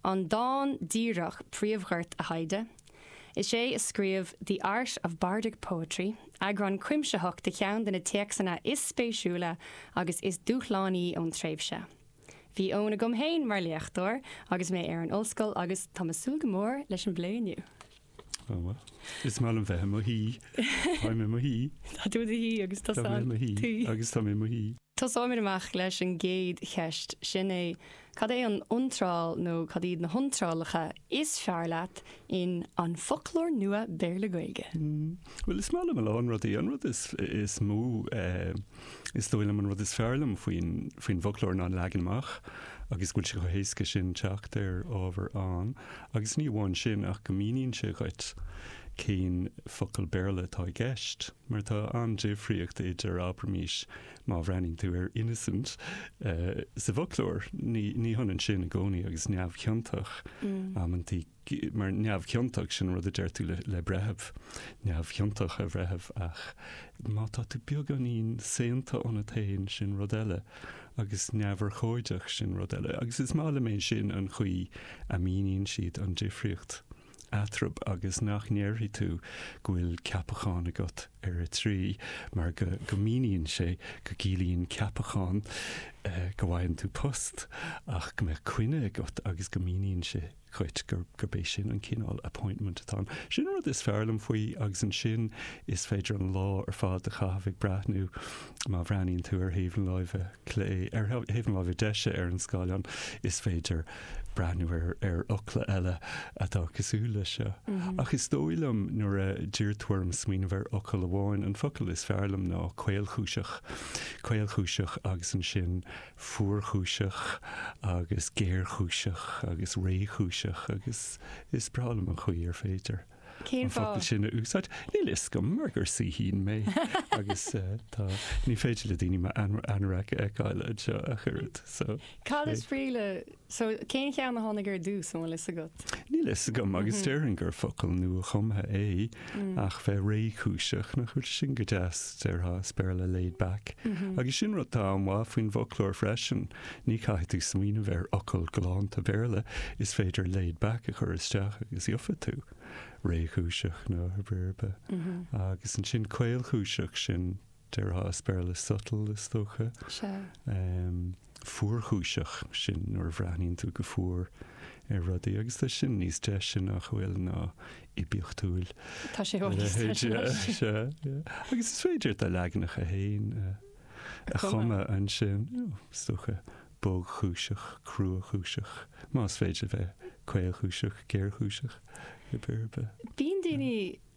an dán díreach príomhghort a thaighde. Is é a scríobh The Art of Bardic Poetry, eagrán cuimsitheach de cheann de na téacsanna is spéisiúla agus is dúshlánaí ón tréimhse. Bhí Eoin agam féin mar léachtóir agus mé ar an ollscoil agus tá mé ag súil go mór leis an bplé inniu. Is maith liom bheith i mo shuí. Táim i mo shuí. Tá tú i do shuí agus tusa i mo shuí. Agus táim i mo shuí. Tosóimid amach leis an gcéad cheist, sin é, cad é an iontráil nó cad iad na hiontrálacha is fearr leat in An Foclóir Nua Béarla-Gaeilge? Bhuel, is maith liom a lán rudaí. An rud is mó Is dóigh liom an rud is fearr liom faoin, faoin bhfoclóir ná an leagan amach agus go bhfuil sé chomh héasca sin teacht ar ábhar ann, agus ní amháin sin ach go míníonn sé dhuit cén focal Béarla atá i gceist, mar tá an-difríocht idir, abraimís, má bhreathnaíonn tú ar 'innocent' sa bhfoclóir, ní, ní hionann sin i gcónaí agus 'neamhchiontach' amantaí. mar neamhchiontach, sin rud a deir tú le breitheamh, neamhchiontach a bhreithimh, ach má tá tú beagáinín saonta ionat féin, sin rud eile, agus neamhurchóideach, sin rud eile. Agus is maith liom é sin an chaoi a míníonn siad an difríocht eatarthu agus nach ndéarfaidh tú go bhfuil ceapachán agat ar a 3, mar go míníonn sé go gciallaíonn ceapachán go bhfaigheann tú post ach go mbeadh coinne agat agus go míníonn sé dhuit gur gurb é sin an cineál appointment atá ann. Sin an rud is fearr liom faoi agus ansin is féidir an lá ar fad a chaitheamh ag breathnú má bhreathnaíonn tú ar thaobh na láimhe clé, ar thaobh na láimhe deise ar an scáileán, is féidir breathnú ar ar fhocla eile atá cosúil leis seo. Ach is dóigh liom nuair a d'iarr tú orm smaoineamh ar fhocal amháin, an focal is fearr liom ná caolchúiseach. Caolchúiseach agus ansin. fuarchúiseach agus géarchúiseach agus réchúiseach agus is breá liom an chaoi ar féidir Cén fáth? an focal sin a úsáid. Níl a fhios agam mar gur saoithín mé agus eh, tá, ní féidir le daoine m'anorak a fheiceáil anseo ach oiread so. Cad is brí le So, cén ceann a tháinig ar dtús, an bhfuil fhios agat? Níl fhios agam, agus déarfainn gur focal nua-chumtha é, ach bheith réchúiseach, nach bhfuil sin go deas, déarfá, as Béarla laid back. Agus sin rud atá an-mhaith faoin bhfoclóir freisin, ní chaithfidh tú smaoineamh ar fhocal galánta Béarla, is féidir laid back a chur isteach agus gheobhaidh tú réchúiseach nó pé ar bith. Agus ansin caolchúiseach, sin, déarfá, as Béarla subtle, is dócha. Sea. fuarchúiseach sin nuair a bhreathnaíonn tú go fuar ar rudaí, agus tá sin níos deise, nach bhfuil, ná oibiachtúil Tá sé níos deise leis. Agus is féidir do leaganacha féin a chumadh ansin, you know, is dócha, bogchúiseach, cruachúiseach, más féidir a bheith caolchúiseach, géarchúiseach, cibé ar bith. Bíonn daoine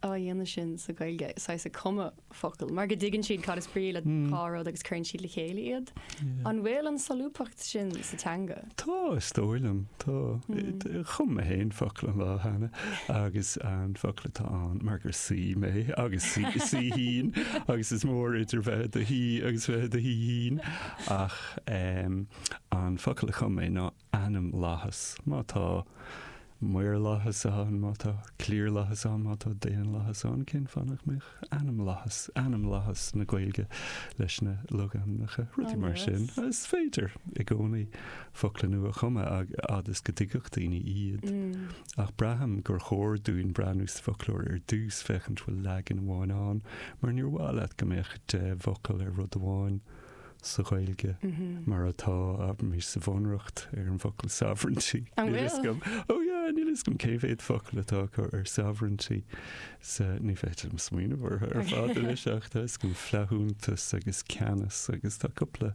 á dhéanamh sin sa Ghaeilge, saghas ag cumadh focal, mar go dtuigeann siad cad is brí le dhá rud agus cuireann siad le chéile iad. An bhfuil an solúbthacht sin sa teanga? Tá, is dóigh liom. Tá. Chum mé féin focal an lá cheana agus an focal atá ann, mar gur saoi mé agus saoithín agus is mór idir bheith i do shaoi agus bheith i do shaoithín, ach an focal a chum mé ná ainmlathas, má tá maorlathas ann, má tá cliarlathas ann, má tá daonlathas ann, cén fáth nach mbeadh ainmlathas, ainmlathas na Gaeilge leis na logainmneacha, rudaí mar sin. Is féidir i gcónaí focla nua a chumadh fhad is go dtuigfeadh daoine iad. Ach braithim gur chóir dúinn breathnú sa bhfoclóir ar dtús, féachaint bhfuil leagan amháin ann, mar níor mhaith leat go mbeadh deich bhfocal ar rud amháin. sa Ghaeilge mar atá, abraimis, sa Bhunreacht ar an bhfocal sovereignty. An bhfuil? Níl fhios agam. Oh yeah, níl fhios agam cé mhéad focal atá acu ar sovereignty sa, ní féidir liom smaoineamh orthu ar fad anois ach tá fhios agam flaithiúntas agus ceannas agus tá cúpla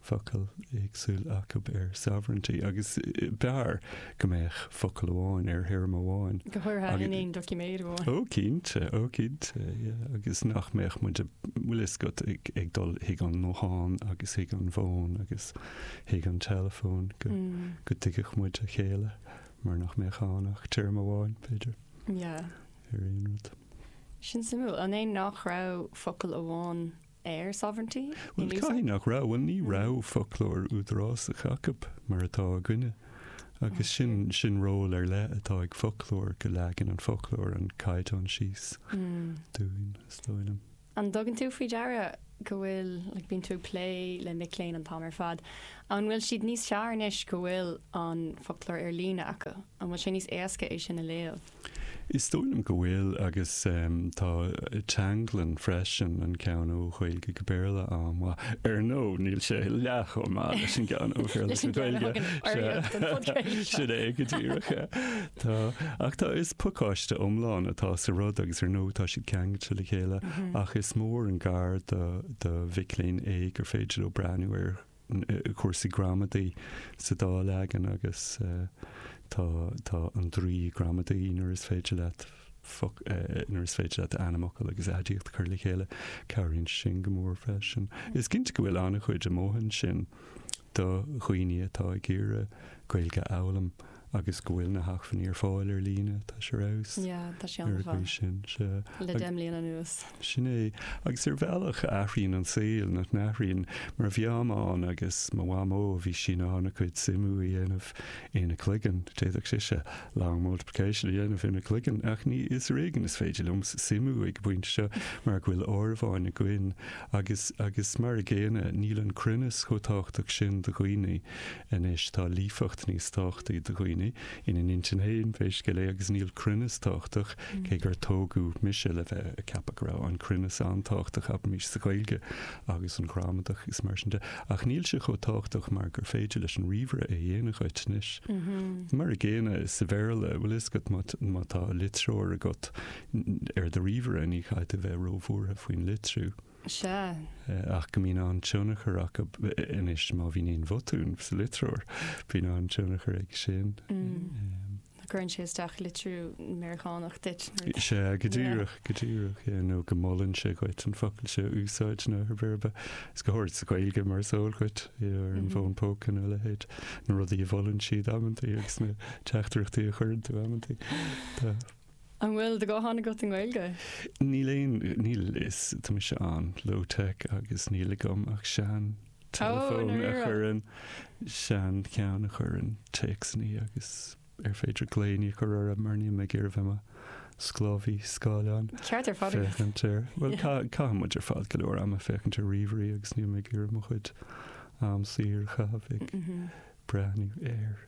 focal éagsúil acu ar sovereignty agus b'fhearr go mbeadh focal amháin ar théarma amháin. Go háirithe in aon doiciméad amháin. Ó cinnte, ó cinnte, yeah, agus nach mbeadh muid ag, bhfuil fhios agat, ag dul chuig an nguthán agus chuig an bhfón agus chuig an teileafón go, go dtuigfeadh muid a chéile mar nach mbeadh ann ach téarma amháin, b'fhéidir, ar aon rud. Sin suimiúil, an é nach raibh focal amháin ar sovereignty in úsáid. Caithfidh nach raibh, bhuel ní raibh foclóir údarásach acu mar atá againne agus sin sin ról ar leith atá ag foclóir go leagann an foclóir an caighdeán síos dúinn is dóigh liom. An dtugann tú faoi deara go bhfuil, like, bíonn tú ag plé le mic léinn an t-am ar fad, an bhfuil siad níos fearr anois go bhfuil an foclóir ar líne acu? An bhfuil sé níos éasca é sin a léamh? Is dóigh liom go bhfuil agus tá teanglann freisin an ceann ó Ghaeilge go Béarla ann, ach, ar ndóigh, níl sé leath-chomh maith leis an gceann ó Bhéarla go Gaeilge, sin é go díreach. Tá, ach tá, is pacáiste iomlán atá sa rud agus ar ndóigh tá siad ceangailte le chéile ach is mór an gar do mhic léinn é gur féidir leo breathnú ar cúrsaí gramadaí sa dá leagan agus tá An Draoi Gramadaí nuair is féidir leat nuair is féidir leat ainmfhocal agus aidiacht a chur le chéile. Cabhraíonn sin go mór freisin. Is cinnte go bhfuil an-chuid amuigh ansin do dhaoine atá ag iarraidh Gaeilge a fhoghlaim. agus go bhfuil na hacmhainní ar fáil ar líne, tá sé ar fheabhas ar an gcaoi sin. Le deich mbliana anuas. Sin é. Agus ar bhealach a athraíonn an saol, nach n-athraíonn? Mar mo mhamá agus mo mhamó, bhí sí in ann a cuid suimiú a dhéanamh ina cloigeann, d'fhéadfadh sise long multiplication a dhéanamh ina cloigeann, ach ní is ar éigean is féidir liom suimiú ag an bpointe seo mar go bhfuil áireamháin againn agus, agus mar a gcéanna, níl an cruinneas chomh tábhachtach sin do dhaoine Anois tá líofacht níos tábhachtaí do dhaoine ina n-intinn féin pé scéal é agus níl cruinneas tábhachtach, cé gur tógadh mise le bheith ag ceapadh go raibh an cruinneas an-tábhachtach, abraimis, sa Ghaeilge agus an ghramadach agus mar sin de, ach níl sé chomh tábhachtach mar gur féidir leis an ríomhaire é a dhéanamh dhuit anois. Mar a gcéanna sa Bhéarla, bhfuil a fhios agat, má tá litreoir agat ar do ríomhaire ní chaithfidh tú bheith róbhuartha faoin litriú. Sea. ach go mbíonn an-tionchar aige anois má bhíonn aon bhotún sa litreoir, bíonn an-tionchar aige sin. Go gcuireann sé isteach litriú Meiriceánach duit. Sea, go díreach, go díreach. Nó go molann sé dhuit an focal seo a úsáid nó pé ar bith. Is go háirid sa Ghaeilge mar is eol dhuit, ar an bhfón póca nó a leithéid, na rudaí a mholann siad amantaí agus na teachtaireachtaí a chuireann tú amantaí. An bhfuil do ghuthán agat i nGaeilge? Níl aon, níl, is, tá mise an, low tech agus níl agam ach sean, teileafón, a Náire. chuireann, sean, cheann a chuireann téacsannaí agus ar féidir glaonna a chur orthu mar níl mé ag iarraidh bheith i mo sclábhaí scáileáin. Ceart ar fad agat. Féachaint ar, bhuel, ca, caitheann muid ar fad go leor ama féachaint ar ríomhairí agus níl mé ag iarraidh mo chuid am saor a chaitheamh ag breathnú air.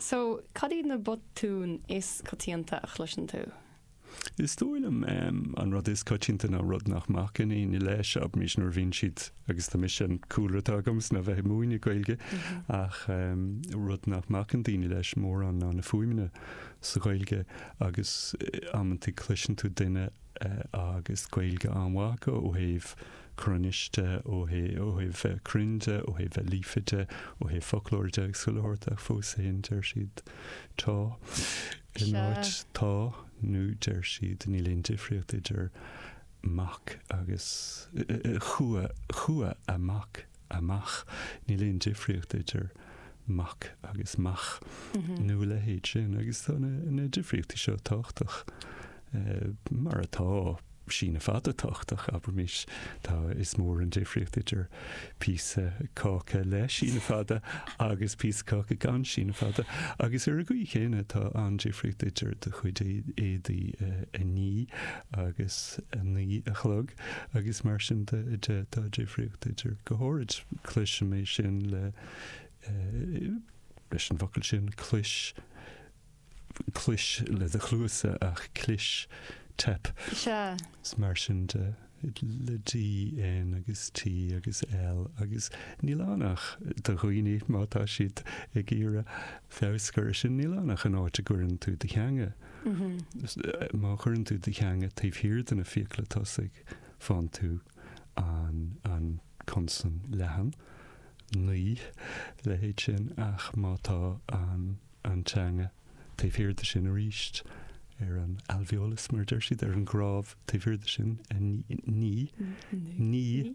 So, cad iad na botúin is coitianta a chloiseann tú? Is dóigh liom an rud is coitianta ná rud nach mbacann éinne leis, abraimis nuair a bhíonn siad, agus tá mise, an cúlra atá agamsa ná bheith ag múineadh Gaeilge, ach rud nach mbacann daoine leis mórán ná na fuaimeanna sa Ghaeilge agus amantaí cloiseann tú duine, agus Gaeilge an-mhaith acu ó thaobh cruinnis de, ó thaobh, ó thaobh bheith cruinn de, ó thaobh bheith líofa de, ó thaobh foclóir de agus chuile shórt ach fós féin deir siad 'tá' in áit 'tá' nó deir siad 'níl aon difríocht idir 'mac' agus 'chua', 'chuaigh amach' amach. Níl aon difríocht idir mac agus mach nó a leithéid sin agus tá na difríochtaí seo tábhachtach eh, mar atá síneadh fada tábhachtach, abraimís. Tá is mór an difríocht idir píosa cáca le síneadh fada agus píosa caca gan síneadh fada agus ar an gcaoi chéanna tá an-difríocht idir do chuid é- éadaí eh, a ní agus a naoi a chlog. agus mar sin de, de, tá difríocht idir, go háirid, cloisim é sin le, leis an bhfocal sin, clis, clois le do chluasa ach clis, teip. Sea. Is mar sin de, le D, N agus T agus L agus níl ann ach do dhaoine, má tá siad ag iarraidh feabhas a chur ar sin, níl ann ach an áit a gcuireann tú do theanga. Má chuireann tú do theanga taobh thiar de na fiacla tosaigh, fáann tú an consan leathan, naoi, leithéid sin, ach má tá an teanga taobh thiar de sin arís, ar an alveolus, mar a deir siad, ar an gcnámh taobh thiar de sin, naoi, naoi, naoi,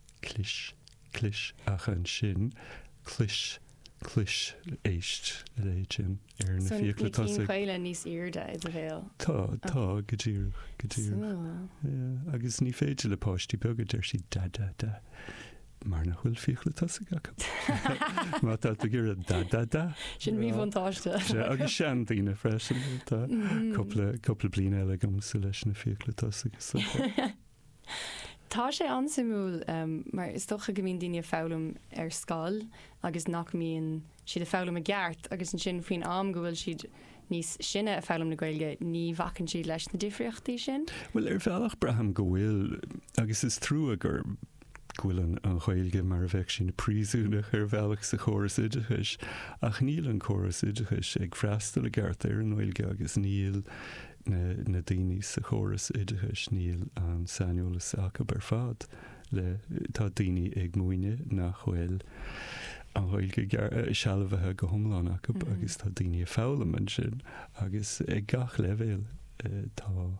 Clis, clis, ach ansin, clois, clois, éist a leithéid sin ar na fiacla tosaigh. So na cinn caola níos airde i do bhéal? Tá, tá, go díreach, go díreach. Súil. Agus ní féidir le páistí beaga, deir sí, da, da, da, mar nach bhfuil fiacla tosaigh acu. Má tá tú ag iarraidh da, da, da. Sin míbhuntáiste. Sea, agus seandaoine freisin, tá cupla, cupla bliain eile agam agus leis na fiacla tosaigh. Tá sé an-suimiúil mar is dócha go mbíonn daoine ag foghlaim ar scoil agus nach mbíonn siad ag foghlaim i gceart agus ansin faoin am go bhfuil siad níos sine ag foghlaim na Gaeilge, ní bhacann siad leis na difríochtaí sin. Bhuel, ar bhealach braithim go bhfuil agus is trua gur go bhfuil an Ghaeilge mar a bheadh sí ina príosúnach ar bhealach sa chóras oideachais ach níl an córas oideachais ag freastal i gceart ar an nGaeilge agus níl na daoine sa chóras oideachais níl an saineolas acu ar fad le tá daoine ag múineadh nach bhfuil an Ghaeilge sealbhaithe go hiomlán acu agus tá daoine ag foghlaim ansin agus ag gach leibhéal tá bhfuil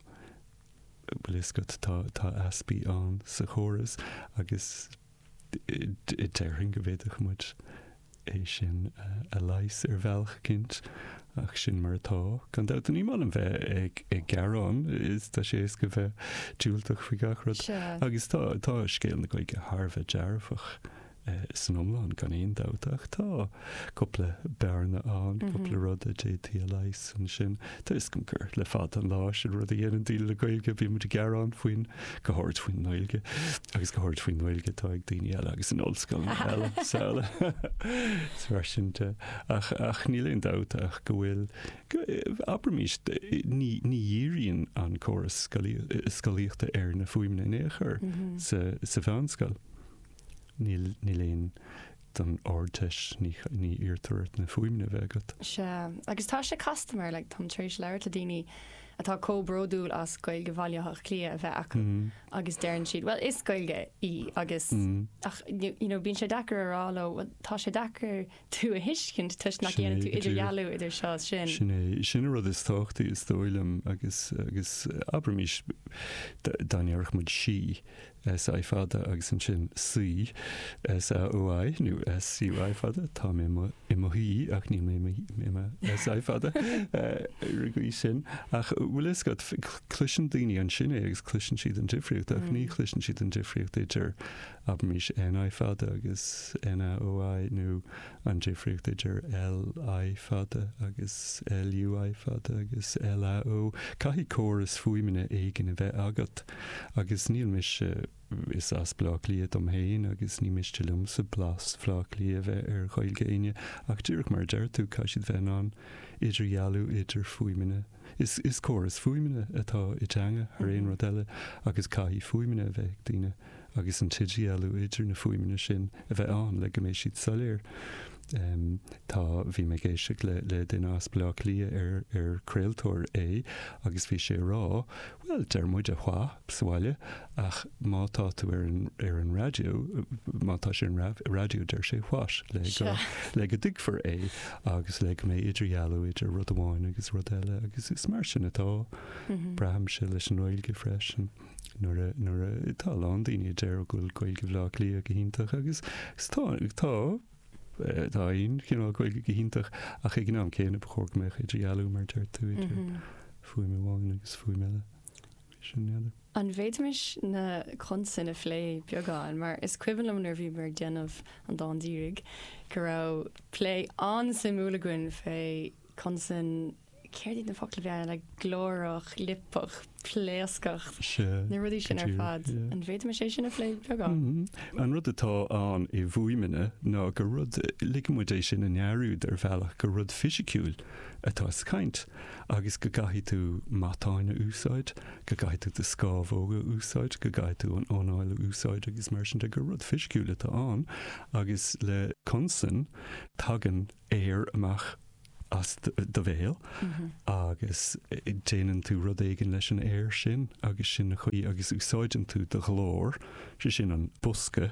a fhios agat tá easpaí ann sa chóras agus Déarfainn go bhféadfadh muid é sin a leigheas ar bhealach eicínt, ach sin mar atá. Gan dabht, ní maith liom bheith ag gearán, is tá sé éasca bheith diúltach faoi gach rud. Agus tá scéal na Gaeilge thar a bheith dearfach san iomlán, gan aon dabht, ach tá. cúpla bearna ann, cúpla rud a d'fhéadfaí a leigheas ansin. Tuigim gur le fada an lá gur sin rud a dhéanann daoine le Gaeilge, bhí muid ag gearán faoin, go hard faoin nGaeilge, agus go hard faoin nGaeilge atá ag daoine eile agus in ollscoileanna eile agus araile is mar sin de. Ach, ach níl aon dabht ach go bhfuil, go, abraimís, ní, ní dhíríonn an córas scolaí, scolaíochta ar na fuaimeanna in aon chor sa, sa mheánscoil. Níl, níl fiú don Ardteist, ní, ní iarrtar ort na fuaimeanna a bheith agat. Sea, agus tá sé casta mar, like, táim tar éis labhairt le daoine atá chomh bródúil as Gaeilge Bhaile Átha Cliath a bheith acu agus deireann siad, well, is Gaeilge í agus, ach, you know, bíonn sé deacair a rá leo, well, tá sé deacair, tú a thuiscint toisc nach ndéanann tú idirdhealú idir seo is sin. Sin é. Sin an rud is tábhachtaí, is dóigh liom, agus, agus abraimís, dá ndéarfadh muid sí, S I fada, agus ansin saoi, S A O I, nó S U I fada, tá mé i mo, i mo shuí, ach níl mé i mo, i mo S I fada, ar an gcaoi sin. Ach bhfuil a fhios agat, cl, cloiseann daoine ansin é agus cloiseann siad an difríocht, ach ní chloiseann siad an difríocht idir abraimis N I fada agus N A O I nó an difríocht idir L I fada agus L U I fada agus L A O, caithfidh córas fuaimeanna éigin a bheith agat, agus níl mise, is as Bleá Cliath dom féin agus ní miste liomsa blas Bhleá Cliath a bheith ar Ghaeilge éinne, ach díreach mar a deir tú, caithfidh siad bheith in ann idirdhealú idir fuaimeanna. Is córas fuaimeanna atá i dteanga thar aon rud eile agus caithfidh fuaimeanna a bheith ag duine agus an t-idirdhealú idir na fuaimeanna sin a bheith ann le go mbeidh siad soiléir. Tá, bhí mé ag éisteacht le duine as Bleá Cliath ar craoltóir é agus bhí sé ag rá, Bhuel, deir muid wha' sa bhaile, ach má tá tú ar an, ar an raidió, má tá sé ar an raidió, deir sé what? le go, le go dtuigfear é agus le go mbeidh idirdhealú idir rud amháin agus rud eile agus is mar sin atá, braithimse leis an nGaeilge freisin. Nuair a, nuair a, tá a lán daoine a deir go bhfuil Gaeilge Bhleá Cliath go hiontach agus, tá, tá, Tá aon chineál Gaeilge go hiontach, ach ag an am céanna ba chóir go mbeadh idirdhealú, mar a deir tú, idir fuaim amháin agus fuaim eile. Sin é, n'fheadar. An bhféadfaimis na consain a phlé beagán, mar is cuimhin liom nuair a bhíomar ag déanamh an dáin dírigh go raibh plé an-suimiúil againn fé consan Céard iad na focla a bhaineann le glórach, liopach, pléascach, na rudaí sin ar fad? An bhféadfaimis é sin a phlé beagán? An rud atá i bhfuaimeanna ná gur rud, ligeann muid é sin i ndearúd ar bhealach, gur rud fisiciúil atá sa chaint agus go gcaithfidh tú matáin a úsáid, go gcaithfidh tú do scamhóga a úsáid, go gcaithfidh tú an anáil a úsáid agus mar sin de, gur rud fisiciúil atá ann agus le consan tagann aer amach as do bhéal agus déanann tú rud éigin leis an aer sin agus sin an chaoi agus úsáideann tú do ghlór, sé sin an bosca,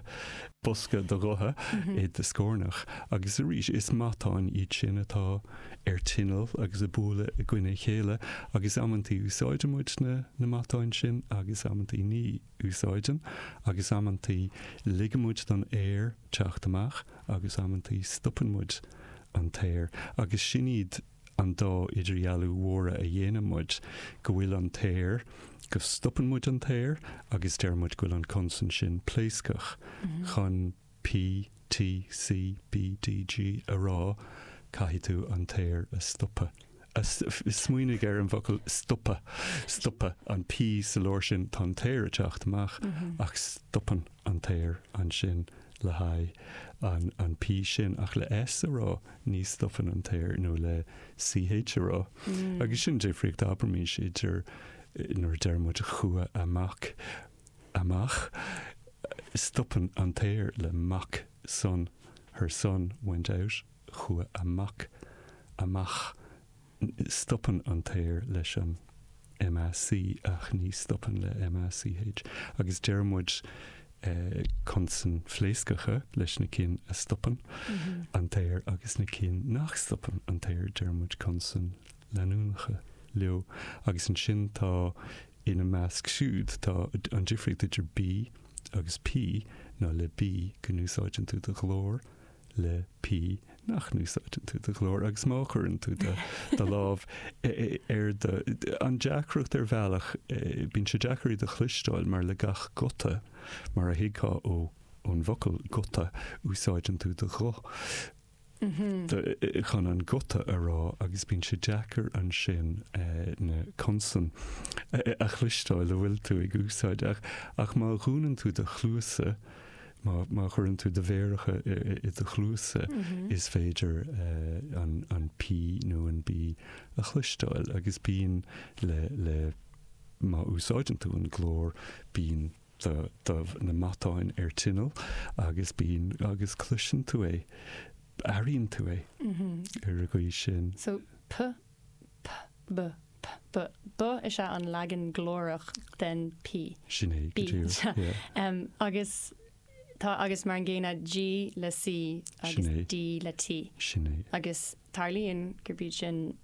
bosca do ghutha i do scornach agus arís is matáin iad sin atá ar tinneall agus ag bualadh i gcoinne a chéile agus amantaí úsáideann muid na matáin sin agus amantaí ní. úsáideann, agus amantaí ligeann muid don aer teacht amach agus amantaí stopann muid an t-aer, agus sin iad an dá idirdhealú mhóra a dhéanann muid, go bhfuil an t-aer, go stopann muid an t-aer, agus deir muid go bhfuil an consan sin pléascach chun. PTCBDG a rá, caithfidh tú an t-aer a stopadh, a, smaoinigh ar an bhfocal stopadh, stopadh, tá an P sa lár sin, tá an t-aer ag teacht amach ach stopann an t-aer ansin le haghaidh an, an P sin, ach le S a rá ní stopann an t-aer, nó le CH a rá. Agus sin an difríocht, abraimís idir nuair a deir muid chuaigh a mac, amach, stopann an t-aer le mac son, her son went out chuaigh a mac amach, stopann an t-aer leis an MAC ach ní stopann le MACH agus deir muid consain phléascacha leis na cinn a stopann an t-aer agus na cinn nach stopann an t-aer deir muid consain leanúnacha leo agus ansin tá Ina measc siúd tá an difríocht idir B agus P ná le B go n-úsáideann tú do ghlór, le P nach n-úsáideann tú do ghlór agus má chuireann tú do lámh ar do. An deacracht ar bhealach, bíonn sé deacair iad a chloisteáil mar le gach guta, mar a thuigfeá ón bhfocal guta, úsáideann tú do ghuth. chun an guta a rá agus bíonn sé deacair ansin na consain a chloisteáil a bhfuil tú ag úsáid ach ach má dhúnann tú do chluasa, má má chuireann tú do mhéaracha i do chluasa is féidir an an P nó an B a chloisteáil agus bíonn le le má úsáideann tú an glór bíonn na matáin ar tinneall agus bíonn agus cloiseann tú é, airíonn tú é ar an gcaoi sin. So p, p, b, p, b, b is ea an leagan glórach den p. Sin é, go díreach, yeah. Agus tá, agus mar an gcéanna, g le c agus d le t. Sin é. Agus. Tarlaíonn gurb iad sin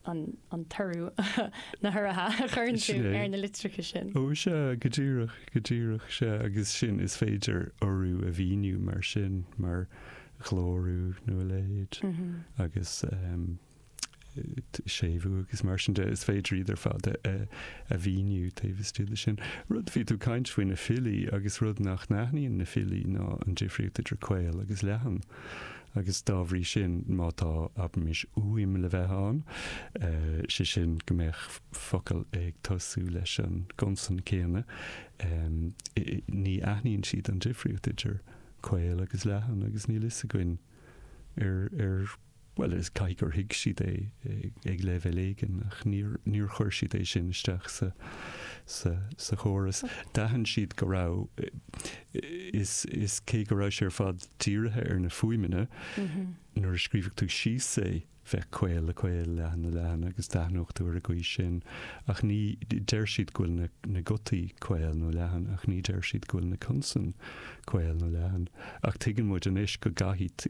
an toradh, na huruithe a chuireann tú ar na litreacha sin. Ó, sea, go díreach, go díreach, sea, agus sin, is féidir urú a mhíniú mar sin, mar ghlórú nó a leithéid, agus séimhiú agus mar sin de, is féidir iad ar fad a mhíniú taobh istigh de sin. Rud, bhí tú ag caint faoi na filí, agus rud nach n-aithníonn na filí ná an difríocht idir caol agus leathan. agus dá bhrí sin, má tá, abraimis, uaim le bheith ann, sé sin, go mbeadh focal ag tosú leis an gconsan céanna, ní aithníonn siad an difríocht idir caol agus leathan agus níl fhios againn ar, ar, bhuel, is caithfidh gur thuig siad é ag leibhéal éigin ach níor, níor chuir siad é sin isteach sa, sa, sa chóras. D'aithin siad go raibh. is is cé go raibh sé ar fad dírithe ar na fuaimeanna nuair a scríobhadh tú síos é, bheadh caol le caol, leathan le leathan agus d'aithneodh tú ar an gcaoi sin ach ní, deir siad go bhfuil na na gutaí caol nó leathan ach ní deir siad go bhfuil na consain caol nó leathan ach tuigeann muid anois go gcaithfidh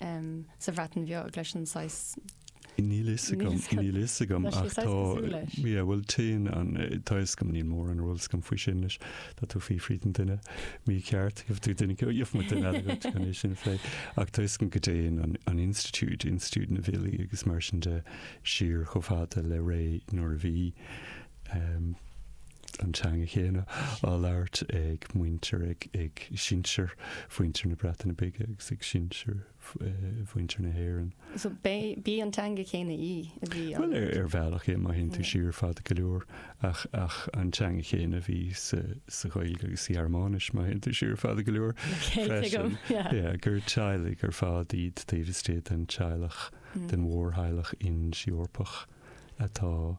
sa Bhreatain Bheag leis an saghas. Níl fhios agam, níl fhios agam. Tá siad saghas cosúil leis. Ach tá, yeah, bhuel, téann an, tá fhios agam, níl mórán eolais agam faoi sin leis. Tá tú ag fiafraí den duine mícheart, gheobhaidh tú duine, gheobhaidh muid duine eile agat chun é sin a phlé. Ach tá fhios agam go dtéann an, an institiúid, institiúid na bhfilí agus mar sin de, siar chomh fada le ré nuair a bhí, an teanga chéanna á labhairt ag muintir, ag sinsir mhuintir na Breataine Bige agus ag sinsir mhuintir na hÉireann. So ab é an teanga chéanna í a bhí á labhairt? Bhuel, ar bhealach, má théann tú siar fada go leor, ach ach an teanga chéanna a bhí sa sa Ghaeilge agus sa Ghearmáinis, má théann tú siar fada go leor, freisin, yeah, gur teaghlaigh ar fad iad taobh istigh den teaghlach, den mhórtheaghlach Ind-Eorpach atá,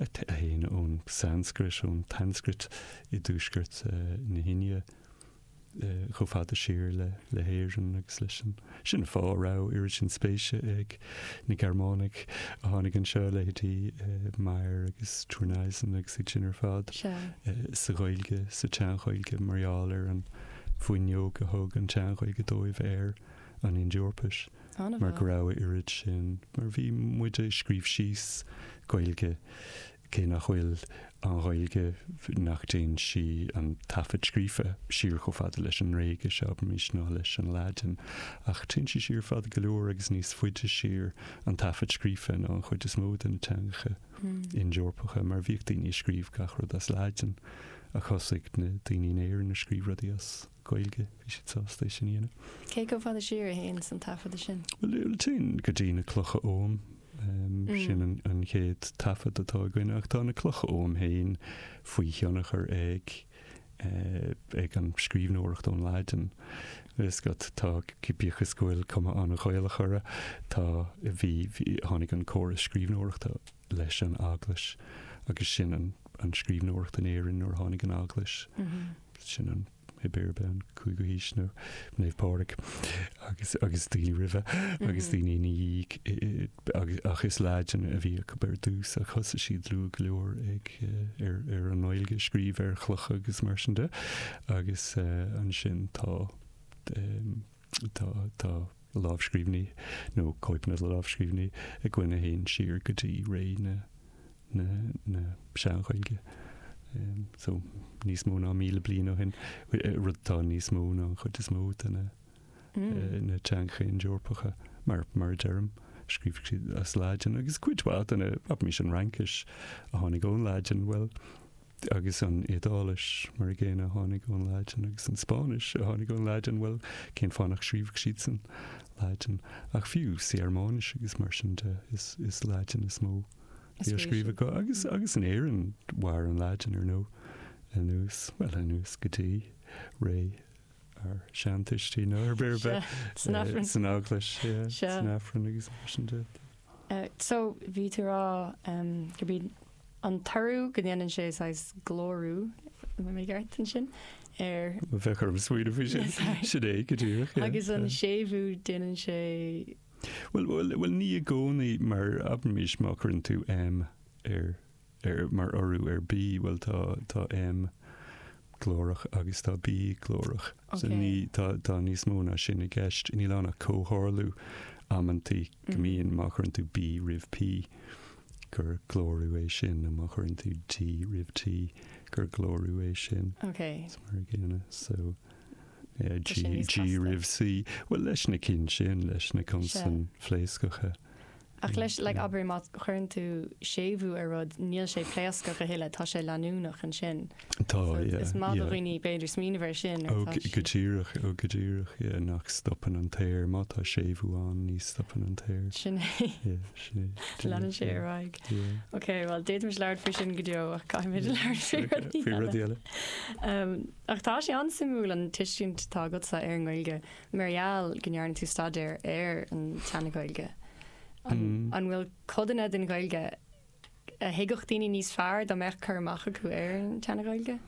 Théann ón tSanscrait, ón tSanscrait i dtuaisceart na hIndia, chomh fada siar le hÉirinn agus leis an. Sin an fáth a raibh oiread sin spéise ag na Gearmánaigh a tháinig anseo, leithéidí Meyer agus Thurneysen agus iad sin ar fad, sa Ghaeilge, sa tSean-Ghaeilge, mar gheall ar an bhfuinneog a thug an tSean-Ghaeilge dóibh ar. an Ind-Eorpais, mar go raibh a oiread sin, mar bhí muid ag scríobh síos, Gaeilge, cé nach bhfuil an Ghaeilge, nach dtéann sí, an taifead scríofa, siar chomh fada leis an nGréigis, abraimis, ná leis an Laidin, ach téann sí siar fada go leor agus níos faide siar, an taifead scríofa, ná an chuid is mó de na teangacha Ind-Eorpacha, mar bhíodh daoine ag scríobh gach rud as Laidin, ach thosaigh na daoine in Éirinn ag scríobh rudaí as. Gaeilge, bhí siad sásta é sin a dhéanamh. Cé chomh fada siar a théanns an taifeadadh sin? Bhuel, téann go dtí na clocha oghaim, sin an chéad taifead atá againn, ach tá na clocha oghaim féin faoi thionchar ag eh, an scríbhneoireacht ón Laidin. Is go, tá, bíodh is go bhfuil cuma an-Ghaelach orthu, tá, bhí, tháinig an córas scríbhneoireachta leis an Eaglais, agus sin an scríbhneoireacht in Éirinn nuair a tháinig an Eaglais, sin an, aimsir, abair, an cúigiú haois, nó Naomh Pádraig, agus agus daoine roimhe, agus daoine ina dhiaidh, ach is Laidin a bhí acu ar dtús, ach thosaigh siad luath go leor ag ar ar an nGaeilge a scríobh ar chlocha agus mar sin de, agus ansin tá tá tá. lámhscríbhinní, nó cóipeanna de lámhscríbhinní, againn ag dul siar go dtí ré na Sean-Ghaeilge, so níos mó ná míle bliain ó shin, rud atá níos mó ná an chuid is mó de na na teangacha Ind-Eorpacha, mar a deirim. Scríobh siad as Laidin agus cuid mhaith de na, abraimis, an Fhraincis a tháinig ón Laidin, bhuel, Agus an Iodáilis, mar a gcéanna, a tháinig ón Laidin, agus an Spáinnis, a tháinig ón Laidin, bhuel, cén fáth nach scríobhadh siad san Laidin? Ach fiú sa Ghearmáinis agus mar sin de, is Laidin is mó a bhí á scríobh acu. Agus, agus in Éirinn, mhair an Laidin, ar ndóigh, anuas, bhuel, anuas go dtí ré ár seantuistí, nó, abair, san Aifreann, san Eaglais, san Aifreann agus mar sin de. So, bhí tú ag rá go mbíonn an toradh go ndéanann sé saghas glórú, an mbeinn i gceart ansin? ar. bheadh orm smaoineamh faoi sin. Sin é, go díreach. agus an séimhiú, déanann sé. bhuel, bhuel, bhuel, ní i gcónaí, mar abraimis má chuireann tú M ar, ar, mar urú ar B, bhuel, tá, tá M glórach agus tá B glórach. So Ok. ní, tá, tá níos mó ná sin i gceist. Níl ann ach comhtharlú amantaí go mbíonn, má chuireann tú B roimh P, gur glórú é sin, nó má chuireann tú D roimh T, gur glórú é sin. Ok. Is mar a gcéanna. So, yeah, G, G roimh C. Bhuel, leis na cinn sin, leis na consain phléascacha. Ach leis, like, abair, má chuireann tú séimhiú ar rud, níl sé pléascach a thuilleadh, tá sé leanúnach ansin. Tá, yeah. Is maith do dhaoine b'fhéidir smaoineamh air sin toisc. Ó, go díreach, ó, go díreach, yeah, nach stopann an t-aer, má tá séimhiú ann, ní stopann an t-aer. Sin é. Yeah, sin é. Leanann sé ar aghaidh. Yeah. Ok, bhuel, d'fhéadfaimis labhairt faoi sin go deo ach caithfimid a labhairt faoi rudaí eile. Faoi rudaí eile. Umm, ach tá sé an-suimiúil an tuiscint atá agatsa ar an nGaeilge, mar gheall go ndearna tú staidéar ar an tSeana-Ghaeilge. An, an bhfuil codanna den Ghaeilge a thuigfeadh daoine níos fearr dá mbeadh cur amach acu ar an tSeana-Ghaeilge?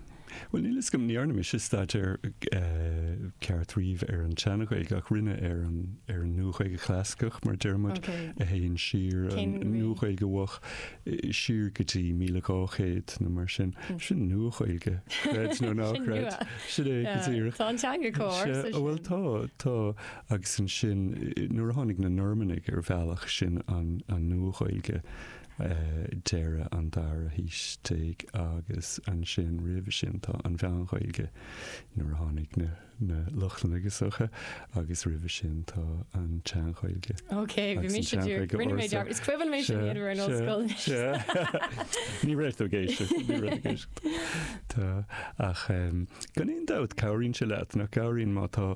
Bhuel, níl fhios agam, ní dhearna mise staidéar ceart riamh ar an tSeana-Ghaeilge, ach rinne ar an, ar an Nua-Ghaeilge Chlasaiceach, mar a deir muid, a théann siar, an Nua-Ghaeilge Mhoch, siar go dtí 1200 nó mar sin. Sin Nua-Ghaeilge, creid nó ná creid. Sin é, go díreach. Tá an teanga comh ársa sin. Bhuel, tá, tá. agus ansin nuair a tháinig na Normannaigh ar bhealach sin an Nua-Ghaeilge deireadh an dara haois déag agus ansin roimhe sin tá an Mheán-Ghaeilge nuair a tháinig na Lochlannaigh isteach agus roimhe sin tá an tSean-Ghaeilge Ok, bhí mise ag iarraidh, rinne mé dearmad, is cuimhin liom é sin nuair a bhí mé san ollscoil anois. Ní raibh tú ag éisteacht, ní raibh tú ag éisteacht. Tá, ach gan aon dabht, cabhraíonn sé leat, nach gcabhraíonn má tá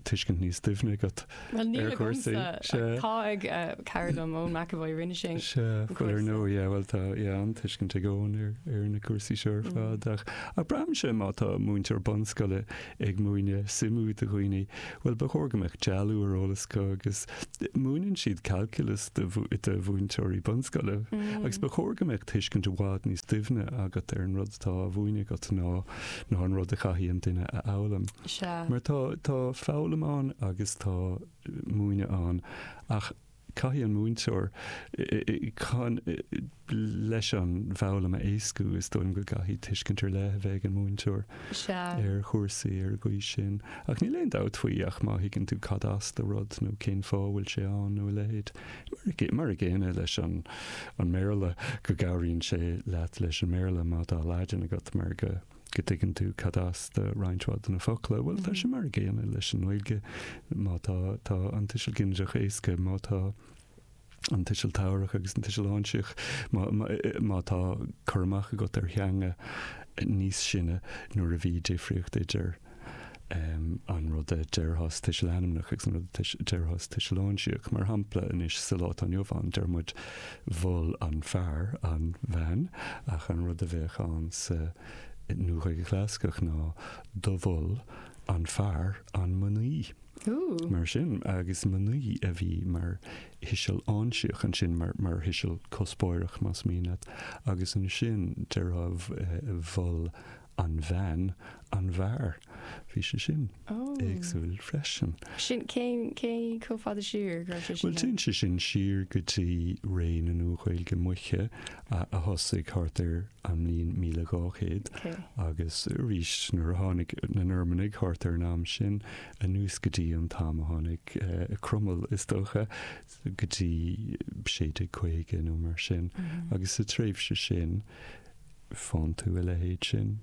tuiscint níos doimhne agat ar chúrsaí? Sea. Tá cara dom, Eoin McEvoy, rinne sé. Sea, bhuel ar ndóigh, yeah, bhuel tá, yeah, an-tuiscint ag Eoin ar na cúrsaí seo ar fad ach, ach braitheann sé má tá múinteoir bunscoile ag múineadh suimiú do dhaoine, bhuel, ba chóir go mbeadh dealú ar eolas acu agus múineann siad calculus do mhúinteoirí bunscoile agus ba chóir go mbeadh tuiscint i bhfad níos doimhne agat ar an rud atá á mhúineadh agat ná an rud a chaithfidh an duine a fhoghlaim. Mar tá, tá foghlaim ann agus tá múineadh ann ach Caithfidh an múinteoir, chun leis an bhfoghlaim a éascú, is dóigh liom go gcaithfidh tuiscint ar leith a bheith ag an múinteoir ar chúrsaí ar an gcaoi sin. Ach níl aon dabht faoi ach má thuigeann tú cad as do rud nó cén fáth a bhfuil sé ann nó a leithéid. Mar a gcéanna leis an mBéarla, go gcabhraíonn sé leat leis an mBéarla má tá Laidin agat mar go go dtuigeann tú cad as do roinnt mhaith de na focla. Bhuel, tá sé mar a gcéanna leis an nGaeilge, má tá, tá an tuiseal ginideach éasca, má tá an tuiseal tabharach agus an tuiseal áinsíoch, má, má, má tá cur amach agat ar theanga níos sine nuair a bhí difríocht idir an rud a déarfá sa tuiseal ainmneach agus an rud a déarfá sa tuiseal áinsíoch. Mar shampla, anois, sa lá atá inniu ann, deir muid mhol an fear an bhean, ach an rud a bheadh ann sa Nua-Ghaeilge Chlasaiceach ná do mhol an fear an mnaoi. Mar sin, agus mnaoi a bhí mar thuiseal áinsíoch ansin, mar thuiseal cuspóireach, más mian leat, agus ansin, déarfá mhol an bhean, an bhfear. Bhí sé sin éagsúil freisin. Sin, cén, cé chomh fada siar a raibh sé sin? Bhuel, téann sé sin siar go dtí ré na Nua-Ghaeilge Moiche a thosaigh thart ar an mbliain míle dhá chéad agus arís nuair a tháinig na Normanaigh thart ar an am sin anuas go dtí an t-am a tháinig Cromail, is dócha. go dtí 1650 nó mar sin, agus sa tréimhse sin faigheann tú a leithéid sin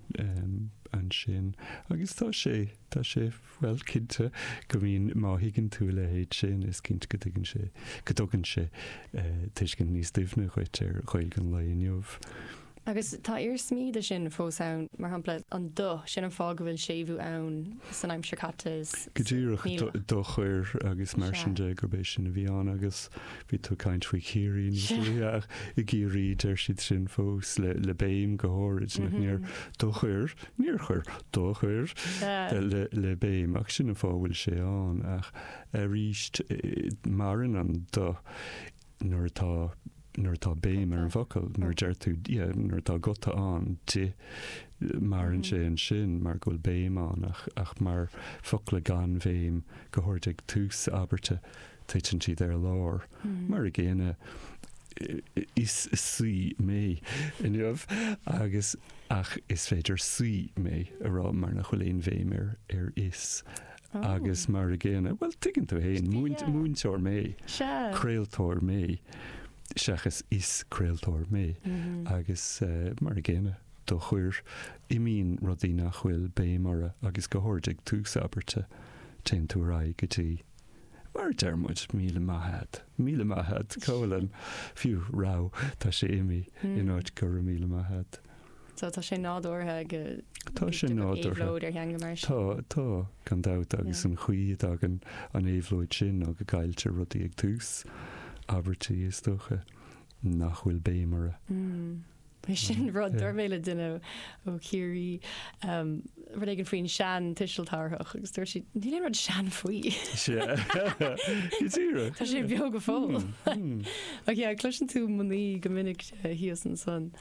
ansin. Agus tá sé, tá sé, bhuel, cinnte go mbíonn, má thuigeann tú a leithéid sin, is cinnte go dtuigeann sé, go dtugann sé tuiscint níos doimhne dhuit ar Ghaeilge an lae inniu. Agus tá iarsmaí de sin fós ann, mar shampla, an do, sin an fáth go bhfuil séimhiú ann san aimsir caite, is Go díreach, níl ach. do chuir agus mar sin Sea. de, gurb é sin a bhí ann agus bhí tú ag caint faoi Chiarraí níos Sea. luaithe ach i gCiarraí deir siad sin fós le le béim go háirid nach níor do chuir, níor chuir, do chuir Sea. de le le béim ach sin an fáth a bhfuil sé ann ach aríst eh, maireann an do nuair atá, nuair atá béim ar an bhfocal, nuair a deir tú, yeah, nuair atá guta ann, di, maireann sé ansin mar go bhfuil béim ann ach, ach mar focla gan bhéim, go háirid ag tús abairte, titeann siad ar lár. Mar a gcéanna, is saoi mé inniu agus, ach is féidir saoi mé a rá mar nach bhfuil aon bhéim ar, ar is Agus mar a gcéanna, bhuel, tuigeann tú féin, múinteoir mé, craoltóir mé, seachas is craoltóir mé, agus mar a gcéanna, do chuir, imíonn rudaí nach bhfuil béim orthu agus go háirid ag tús abairte, téann tú ar aghaidh go dtí, mar a deir muid, míle maith a'd, míle maith a'd, Cóilin, fiú, raibh, tá sé imithe, in áit go raibh míle maith a'd. So tá sé nádúrtha go dtuigtear an éabhlóid ar theanga mar sin. Tá, tá, gan dabht, agus an chaoi a dtagann an éabhlóid sin, nó go gcailltear rudaí ag tús abairtí, is dócha nach bhfuil béim orthu. Bhuel, sin rud dúirt mé le duine ó Chiarraí rud éigin faoin sean tuiseal tabharthach agus dúirt siad, níl aon rud sean faoi. Go díreach. Tá sé beo go fóill. Oidhche, cloiseann tú mnaoi go minic thíos ansan.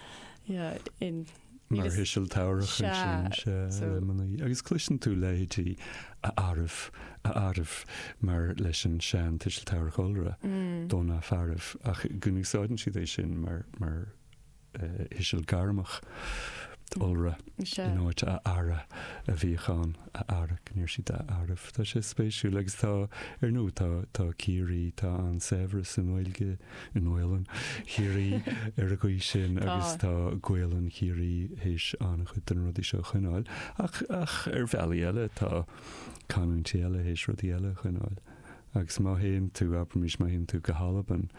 Mar thuiseal tabharthach ansin, sea, le mnaoi, agus cloiseann tú leithéidí a fhearaibh, a fhearaibh, mar leis an sean tuiseal tabharthach iolra, do na fearaibh, ach go n-úsáideann siad é sin mar, mar thuiseal gairmeach iolra in áit a fheara a bhíodh ann, a fheara, go ndeir siad a fhearaibh. Tá sé spéisiúil, agus tá, ar ndóigh, tá, tá Ciarraí, tá an-saibhreas sa nGaeilge. i nGaolainn Chiarraí ar an gcaoi sin agus tá Gaolainn Chiarraí théis an-chuid de na rudaí seo a choinneáil ach, ach ar bhealaí eile tá canúintí eile théis rudaí eile a choinneáil agus má théann tú, abraimís, má théann tú go hAlbain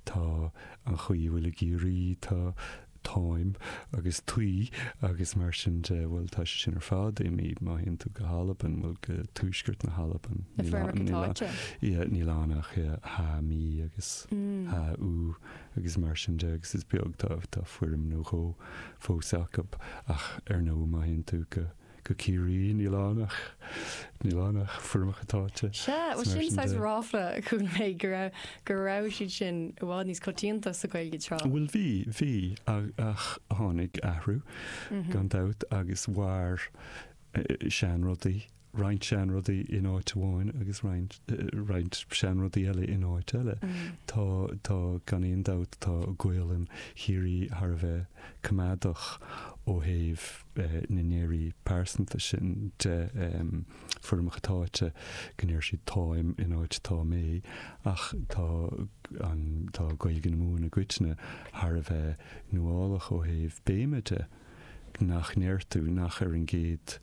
tá an chaoi a bhfuil i gCiarraí, tá táim agus taoi agus mar sin de, bhuel, tá sé sin ar fad imithe, má théann tú go hAlbain, bhuel, go tuaisceart na hAlban, na foirmeacha táite. Ia, níl ann ach ia, ha mí agus mm. ha ú agus mar sin de agus is beag tá tá fuirm nó dhó fós acu ach ar ndóigh má théann tú go go Ciarraí, níl ann ach, níl ann ach foirmeacha táite. Sea, bhuel sin saghas ráfla a chuala mé go raibh, go raibh siad sin i bhfad níos coitianta sa Ghaeilge tráth. Bhuel bhí, bhí ach tháinig athrú gan dabht agus mhair seanrudaí, roinnt seanrudaí in áit amháin agus roinnt, roinnt seanrudaí eile in áit eile. Tá, tá gan aon dabht, tá Gaolainn Chiarraí thar a bheith coimeádach ó thaobh, na ndeirí pearsanta sin de, foirmeacha táite go ndeir siad táim in áit tá mé, ach tá an, tá Gaeilge na Mumhan i gcoitinne thar a bheith nuálach ó thaobh béime de, nach ndeir tú nach ar an gcéad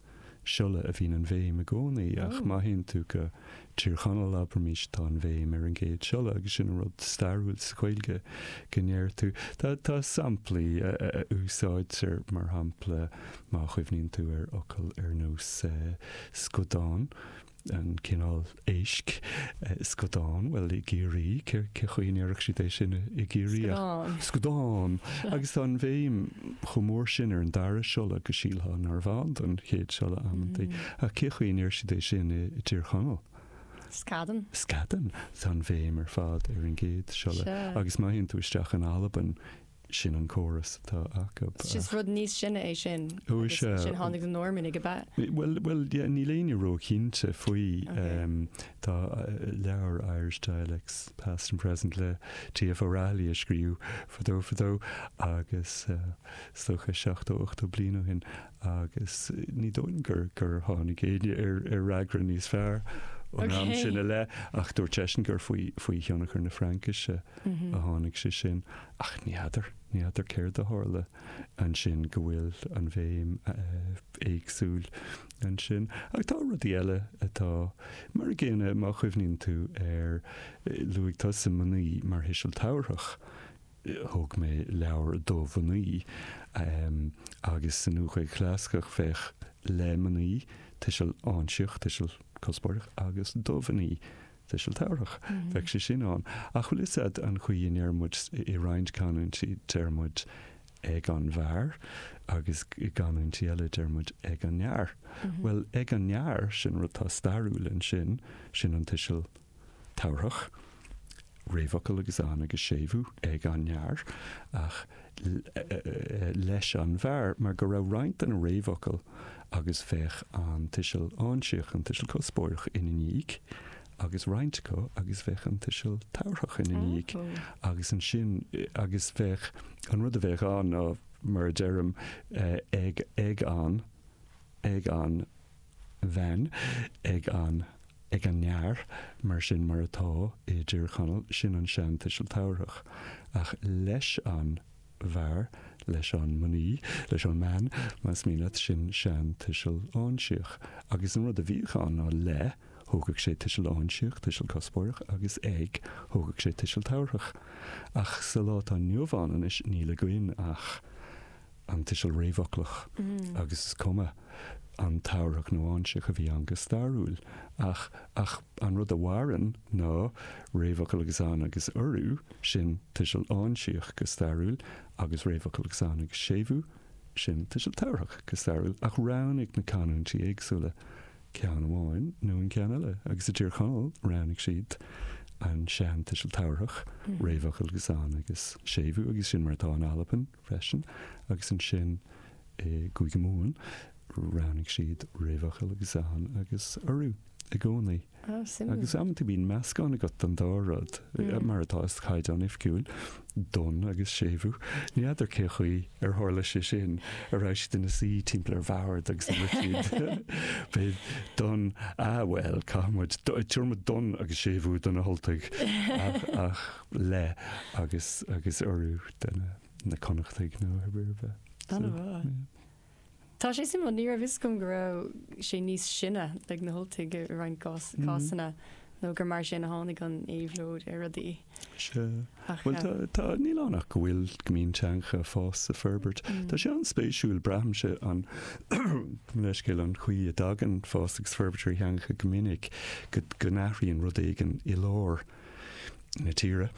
siolla a bhíonn an bhéim i gcónaí ach má théann tú go Tír Chonaill abraimis tá an bhéim ar an gcéad siolla agus sin an rud stairiúil sa Ghaeilge go ndeir tú. Tá samplaí a úsáidtear, mar shampla má chuimhníonn tú ar fhocail ar nós scudán, an cineál éisc, scudán, bhuel i gCiarraí cén chaoi a ndéarfadh siad é sin i gCiarraí ach Scudán. scudán. Agus tá an bhéim chomh mór sin ar an dara siolla go sílfeá narbh ann don chéad siolla amantaí. Ach cén chaoi a ndeir siad é sin i dTír Chonaill? Scadan. Scadan. Tá an bhéim ar fad ar an gcéad siolla. Agus má théann tú isteach in Albain, sin an córas atá acu. Is just rud níos sine é sin agus ansin tháinig na Normannaigh, ab ea? Bhuel, bhuel, yeah, níl éinne ró-chinnte faoi. Tá leabhar Irish Dialects, Past and Present le TF O'Rahilly a scríobhadh fadó fadó agus is dócha 70, 80 bliain ó shin agus ní dóigh liom gur tháinig éinne ar fhreagra níos fearr ón am sin i leith, ach dúirt seisean gur faoi thionchar na Fraincise a tháinig sé sin. Ach ní fheadar, ní fheadar céard a tharla ansin go bhfuil an bhéim éagsúil ansin. Ach tá rudaí eile atá mar a chéile, má chuimhníonn tú ar, luaigh tusa mnaoi mar thuiseal tabharthach thug mé leabhar do mhnaoi agus sa Nua-Ghaeilge Chlasaiceach bheadh le mnaoi, tuiseal áinsíoch, tuiseal cuspóireach, agus do mhnaoi, tuiseal tabharthach. Bheadh sé sin ann. Ach bhfuil 'fhios a'd an chaoi a ndeir muid i roinnt canúintí deir muid ag an bhfear agus i gcanúintí eile deir muid ag an fhear. Bhuel ag an fhear, sin rud atá stairiúil ansin, sin an tuiseal tabharthach, réamhfhocal agus an agus séimhiú ag an fhear, ach leis an bhfear, mar go raibh roinnt de na réamhfhocail agus bheadh an tuiseal áinsíoch, an tuiseal cuspóireach, ina ndiaidh, agus roinnt acu agus bheadh an tuiseal tabharthach ina ndiaidh, agus ansin agus bheadh an rud a bheadh ann ná, mar a deirim, ag an, ag an. bhean ag an ag an fhear mar sin mar atá i dTír Chonaill, sin an seantuiseal tabharthach, ach leis an bhfear, leis an mnaoi, leis an mbean, más mian leat, sin seantuiseal áinsíoch. Agus an rud a bhíodh ann ná le, thógadh sé tuiseal áinsíoch, tuiseal cuspóireach, agus ag, thógadh sé tuiseal tabharthach. Ach sa lá atá inniu ann anois, níl againn ach. an tuiseal réamhfhoclach agus is cuma an tabharthach nó áinsíoch a bhí ann go stairiúil ach ach an rud a mhaireann ná réamhfhocal agus an agus urú, sin tuiseal áinsíoch go stairiúil, agus réamhfhocal agus an agus séimhiú, sin tuiseal tabharthach go stairiúil, ach roghnaigh na canúintí éagsúla ceann amháin nó an ceann eile agus i dTír Chonaill roghnaigh siad an seantuiseal tabharthach, réamhfhocal agus an agus séimhiú, agus sin mar atá in Albain. freisin, agus ansin i gCúige Mumhan roghnaigh siad réamhfhocal agus an agus urú i gcónaí. Ah, suimiúil. Agus amanta bíonn meascán agat den dá rud, mar atá sa chaighdeán oifigiúil, don agus séimhiú. Ní fheadar cén chaoi ar tharla sé sin, an raibh siad ina suí timpeall ar bhord agus dúirt siad, beidh don, ah bhuel, caithfidh muid, tabharfaidh muid don agus séimhiú do na hUltaigh, ach, ach. le agus agus urú do na na Connachtaigh nó ar ar bith. Ana mhaith. So, yeah. Tá sé suimiúil, ní raibh fhios agam go raibh sé níos sine ag na hUltaigh i roinnt gcás- Mm. cásanna nó gur mar sin a tháinig an éabhlóid ar rudaí. Sea. Ach Bhuel, tá, tá, níl ann ach go bhfuil go mbíonn teangacha ag fás is ag forbairt. Mm. Tá sé an-spéisiúil, braithimse, an leithscéal, an chaoi a dtagann fás agus forbairt ar theangacha go minic, go, go n-athraíonn rud éigin i lár. na tíre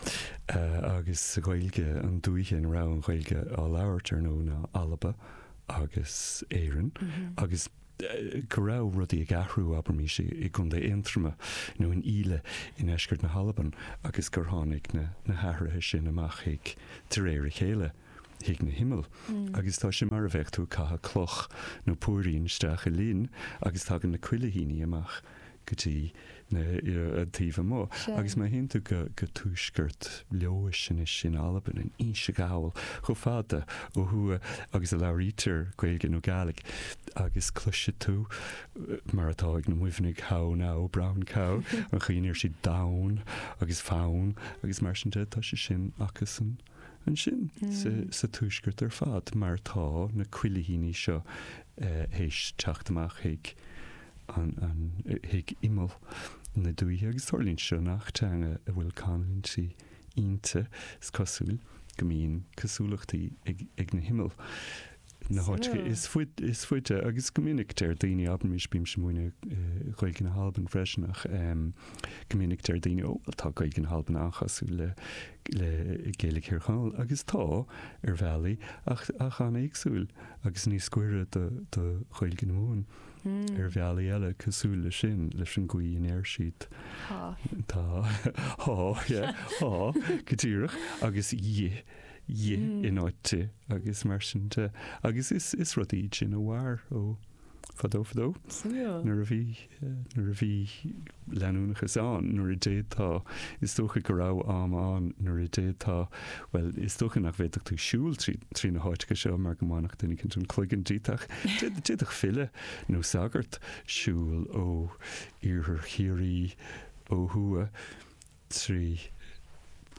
agus sa Ghaeilge an dúiche ina raibh an Ghaeilge á labhairt ar ndóigh ná Alba agus Éirinn agus go raibh rudaí ag athrú abraimis i gContae Aontroma nó in Íle i ndeisceart na hAlban agus gur tháinig na hathruithe sin amach chuig de réir a chéile chuig na himill agus tá sé mar a bheadh tú ag caitheamh cloch nó póirín isteach i linn agus tagann na cuilithíní amach go dtí na taobh amuigh agus má théann tú go tuaisceart Leodhais anois in Albain, in Inse Ghall, chomh fada ó thuaidh agus a labhraítear Gaeilge nó Gaidhlig agus cloisfidh tú, mar atá ag na Muimhnigh, how now, brown cow, an chaoi a ndeir siad domhan agus fonn agus mar sin de, tá sé sin acusan. ansin sa tuaisceart ar fad mar tá na cuilithíní seo théis teacht amach chuig imeall na dúiche agus tarlaíonn seo i ngach teanga a bhfuil canúintí inti, is cosúil go mbíonn cosúlachtaí ag na himill. na háiteanna is faide agus go minic deir daoine, abraimis bímse múineadh Gaeilge na hAlban freisin ach go minic deir daoine ó bhuel tá Gaeilge na hAlban an-chosúil le le Gaeilge Thír Chonaill agus tá ar bhealaí ach ach an-éagsúil agus níos gaire do do Ghaeilge na Mumhan ar bhealaí eile cosúil le sin leis an gcaoi a ndeir siad tá tá tá yeah tá go díreach agus dhi dhi in áit di agus mar sin de. Agus is, is rudaí sin a mhair ó fadó fadó. Nuair a bhí, nuair a bhí leanúnachas ann, nuair a d'fhéadfá, is dócha go raibh am ann nuair a d'fhéadfá, bhuel, is dócha nach bhféadfadh tú siúl trí, trí na háiteacha seo mar go mbainfeadh duine cinnte an cloigeann díot ach d'fhéad, d'fhéadfadh file nó sagart siúl ó iarthar Chiarraí ó thuaidh. trí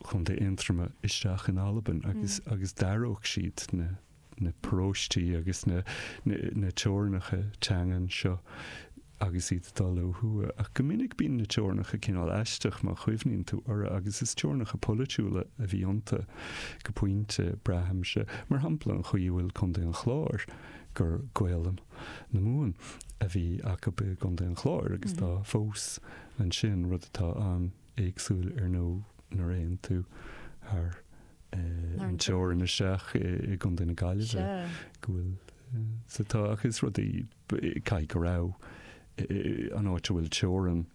Chontae Aontroma isteach in Albain agus agus d'aireodh siad na na paróistí agus na na teorainneacha teangan seo agus iad dul ó thuaidh. Ach go minic bíonn na teorainneacha cineál aisteach má chuimhníonn tú orthu agus is teorainneacha polaitiúla a bhí iontu go pointe, braithimse. Mar shampla, an chaoi a bhfuil Contae an Chláir, gur Gaolainn na Mumhan a bhí acu i gContae an Chláir agus tá fós, Ansin, rud atá an-éagsúil ar ndóigh, nuair a théann tú thar an teorainn isteach i gContae na Gaillimhe, go bhfuil sa tá, ach is rudaí, caithfidh go raibh, an áit a bhfuil teorainn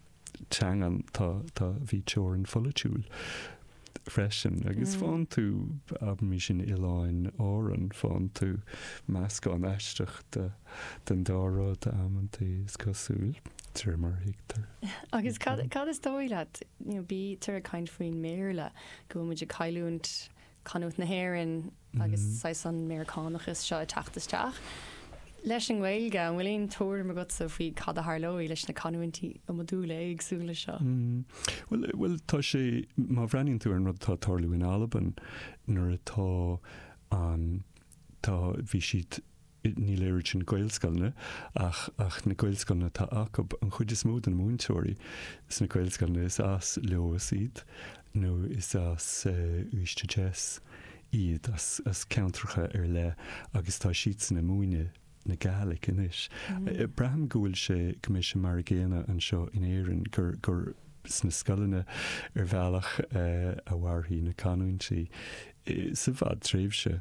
teangan, tá, tá, bhí teorainn pholaitiúil. freisin, agus faigheann tú, abraimis in Oileáin Árann, faigheann tú meascán aisteach de, den dá rud, amanntaí, is cosúil, de mar a thuigtear. Agus cad, cad is dóigh leat, you know, bítear ag caint faoin mBéarla, go bhfuil muid ag cailliúint canúint na hÉireann, agus saghas an Meiriceánachas seo ag teacht isteach. Leis an nGaeilge, an bhfuil aon tuairim agatsa faoi cad a tharlóidh leis na canúintí iomadúla éagsúla seo? Bhuel, bhuel, tá sé, má bhreathnaíonn tú ar an rud atá ag tarlú in Albain, an áit a bhfuil an, tá, bhí siad, Ní déarfaidh mé Gaelscoileanna ach ach na Gaelscoileanna atá acu. An chuid is mó de na múinteoirí sna Gaelscoileanna is as Leodhas iad nó is as Uibhist a Deas iad, as as ceantracha ar leith agus tá siadsan ag múineadh na Gaelic anois. Braithim go bhfuil sé go mbeidh sé mar a gcéanna anseo in Éirinn gur gur sna scoileanna ar bhealach a mhairfidh na canúintí sa bhfadtréimhse.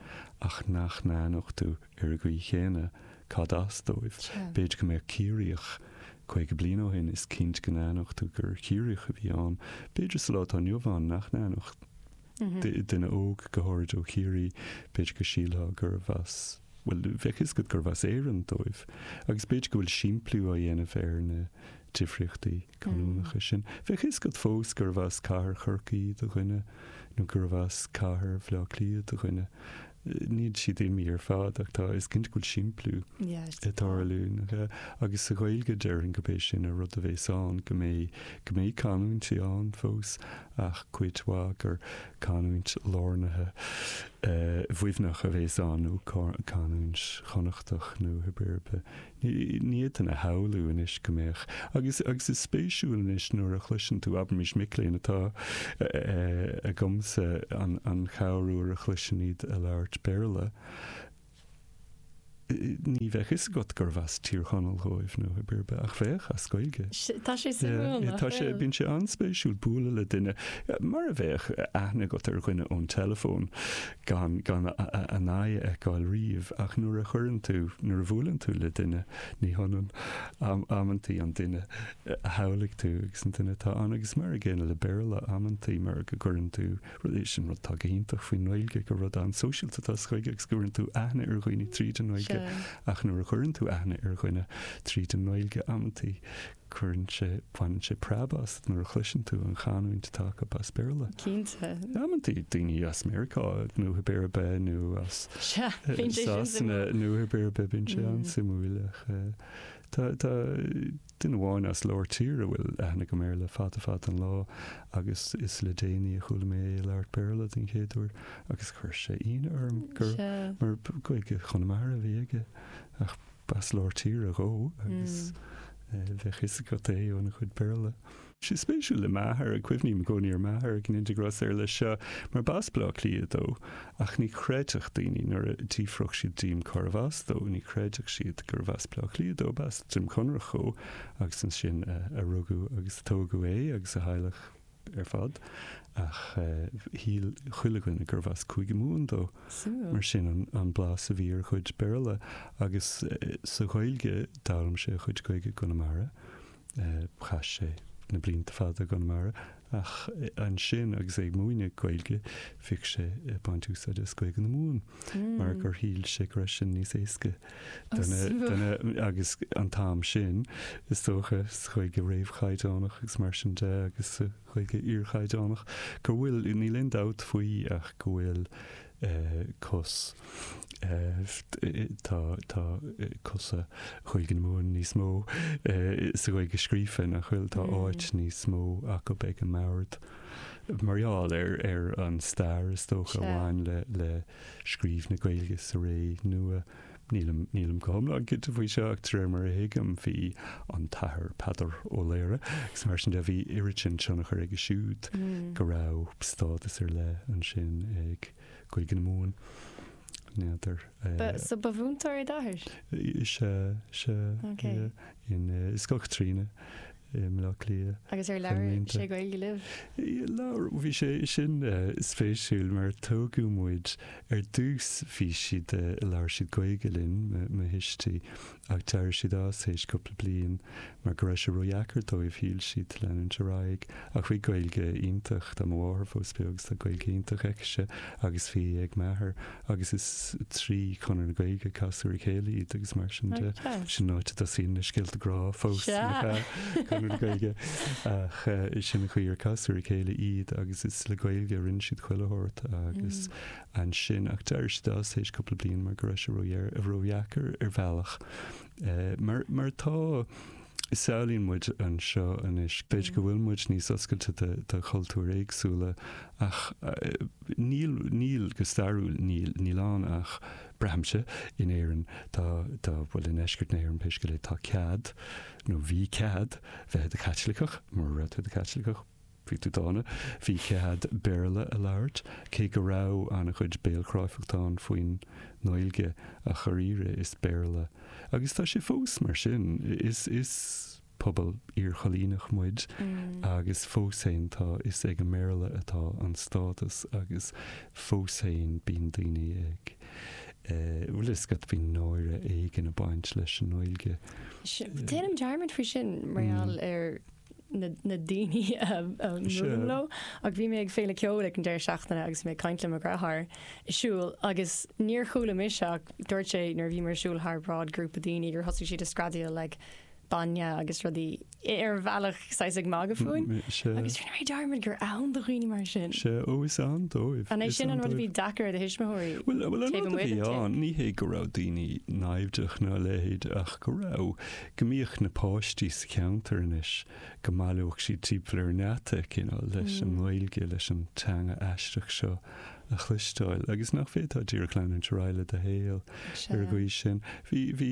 ach nach n-aithneodh tú ar an gcaoi chéanna cad as dóibh. B'fhéidir go mbeadh Ciarraíoch caoga bliain ó shin, is cinnte go n-aithneodh tú gur Chiarraíoch a bhí ann. B'fhéidir sa lá atá inniu ann nach n-aithneodh duine óg, go háirid ó Chiarraí, b'fhéidir go sílfeá gurbh as, bhuel, bheadh a fhios agat gurbh as Éirinn dóibh. Agus b'fhéidir go bhfuil simpliú á dhéanamh ar na difríochtaí. canúnacha sin. Bheadh a fhios agat fós gurbh as cathair Chorcaí do dhuine nó gurbh as cathair Bhleá Cliath do dhuine. Níl siad imithe ar fad ach tá, is cinnte go bhfuil simpliú ag tarlú. Agus sa Ghaeilge déarfainn gurb é sin an rud a bhéas ann, go mbeidh, go mbeidh canúintí ann fós ach cuid mhaith gur canúint lárnaithe Mhuimhneach a bhéas ann nó canúint Chonnachtach nó cibé ar bith. Ní fhéadfainn a shamhlú anois go mbeadh. Agus is spéisiúil anois nuair a chloiseann tú, abraimis, mic léinn atá agamsa an chéad uair a chloisim iad ag labhairt Béarla, ní bheadh fhios agat gurbh as Tír Chonaill dhóibh nó cibé ar bith, ach bheadh, as Gaeilge. Tá sé suimiúil nach bhfuil? Bíonn sé an-spéisiúil bualadh le duine, mar a bheadh aithne agat ar dhuine ón teileafón, gan a n-aghaidh a fheiceáil riamh, ach nuair a chuireann tú, nuair a bhuaileann tú le duine, ní hionann amantaí an duine a shamhlaigh tú agus an duine atá ann. Agus mar an gcéanna le Béarla, amantaí mar go gcuireann tú, sin é an rud atá go hiontach faoin nGaeilge, gur rud an-sóisialta atá sa Ghaeilge agus go gcuireann tú aithne ar dhaoine trí mheán na Gaeilge, ach nuair a chuireann tú aithne ar dhuine trí mheán na Gaeilge, amantaí, cuireann sé, baineann sé preab asat nuair a chloiseann tú an chanúint atá acu as Béarla. Cinnte. Amantaí daoine as Meiriceá nó tá Béarla nó as Sea, bíonn sé sin Sasana suimiúil. nó tá Béarla bíonn sé an-suimiúil ach tá duine amháin as lár tíre a bhfuil aithne agam air le fada fada an lá agus is le déanaí a chuala mé é ag labhairt Béarla den chéad uair agus chuir sé ionadh orm mar Gaeilge Chonamara a bhí aige ach B'as lár tíre dhó agus bheadh fhios agat é óna chuid Béarla. Sé spéisiúil le m'athair, ag cuimhním i gcónaí ar m'athair agus muid ag trácht air leis seo, mar b'as Bleá Cliath dó, ach ní chreidfeadh daoine nuair a d'fhiafródh siad díom cárbh as dó, ní chreidfeadh siad gurbh as Bleá Cliath dó, b'as Droim Conrach dhó agus ansin a rugadh agus a tógadh é agus a theaghlach. ar fad, ach shíl chuile dhuine gurbh as Cúige Mumhan dó. Mar sin an blas a bhí ar a chuid Béarla. Agus sa Ghaeilge, d'fhoghlaim sé a chuid Gaeilge i gConamara. Chaith sé na blianta fada i gConamara, ach ansin agus é ag múineadh Gaeilge, bhíodh sé ag baint úsáide as Gaeilge na Mumhan, mar gur shíl sé go raibh sin níos éasca. Agus an t-am sin, is dócha, sa Ghaeilge réamhchaighdeánach agus mar sin de, agus sa Ghaeilge iarchaighdeánach, go bhfuil, níl aon dabht faoi ach go bhfuil cos, tá, tá cosa Ghaeilge na Mumhan níos mó sa Ghaeilge scríofa, nach bhfuil, tá áit níos mó acu ag an mbord mar gheall ar, ar an stair, is dócha, a bhain le, le. scríobh na Gaeilge sa ré nua. Nílim nílim go hiomlán cinnte faoi seo ach de réir mar a thuigim bhí an tAthair Peadar Ó Laoghaire agus mar sin de bhí oiread sin tionchar aige siúd go raibh stádas ar leith ansin ag Gaeilge na Mumhan. N'fheadar. Ba, so ba mhúinteoir é d'athair? Se, se. Okay. Yeah. In uh, Scoil Caitríona. i mBleá Cliath. Agus ar labhair sé Gaeilge libh? Labhair, bhí sé, sin spéisiúil mar tógadh muid, ar dtús bhí siad, labhair siad Gaeilge linn, mo thuistí, ach d'éirigh siad as théis cúpla bliain mar go raibh sé ródheacair dóibh, shíl siad, leanúint ar aghaidh, ach bhí Gaeilge iontach, tá mo mháthair fós beo, agus tá Gaeilge iontach aicse, agus bhí ag m'athair, agus is trí Chonradh na Gaeilge a casadh ar a chéile iad agus mar sin de. Sin an áit a dtosaíonn na scéalta grá fós a fhir, Conradh na Gaeilge. Ach sin an chaoi ar casadh ar a chéile iad agus is le Gaeilge a rinne siad chuile shórt agus ansin, ach d'éirigh siad as tar éis cúpla bliain mar go raibh sé ródheacair ar bhealach. Mar atá. samhlaíonn muid anseo anois. B'fhéidir go bhfuil muid níos oscailte do chultúir éagsúla ach níl, níl, go stairiúil níl. Níl ann ach, braithimse, in Éirinn, tá, tá, bhuel i ndeisceart na hÉireann pé scéal é, tá cead, nó bhí cead, bheith i do Chaitliceach, mura raibh tú i do Chaitliceach, Bhí tú dána. Bhí cead Béarla a labhairt, cé go raibh an-chuid béalchráifeachta ann faoin nGaeilge, ach dháiríre is Béarla, agus tá sé fós mar sin, is is pobal iarchoilíneach muid agus fós féin tá, is ag an mBéarla atá an stádas agus fós féin bíonn daoine ag eh, bhfuil a fhios agat, bíonn náire éigin ag baint leis an nGaeilge. Déanaim dearmad faoi sin mar gheall ar. na daoine a mbuailim leo, ach bhí mé ag féile ceoil ag an deireadh seachtaine agus bhí mé ag caint le mo dheartháir ag siúl agus níor chuala mise ach dúirt sé nuair a bhíomar ag siúl thar bráid grúpa daoine gur thosaigh siad ag screadaíl like bainne agus rudaí ar bhealach saghas ag magadh fúinn agus rinne mé dearmad gur ann do dhaoine mar sin. Sea, ó is ann dóibh. An é sin an rud a bhí deacair ar do thuismitheoirí? Bhuel, an rud a bhí ann, ní hé go raibh daoine naimhdeach ná a leithéid ach go raibh go mbíodh na páistí sa cheantar anois, go mbailíodh siad timpeall ar an ngeata, you know, leis an nGaeilge, leis an teanga aisteach seo a chloisteáil, agus nach bhféadfá díreach leanúint ar aghaidh le do shaol ar an gcaoi sin. Bhí, bhí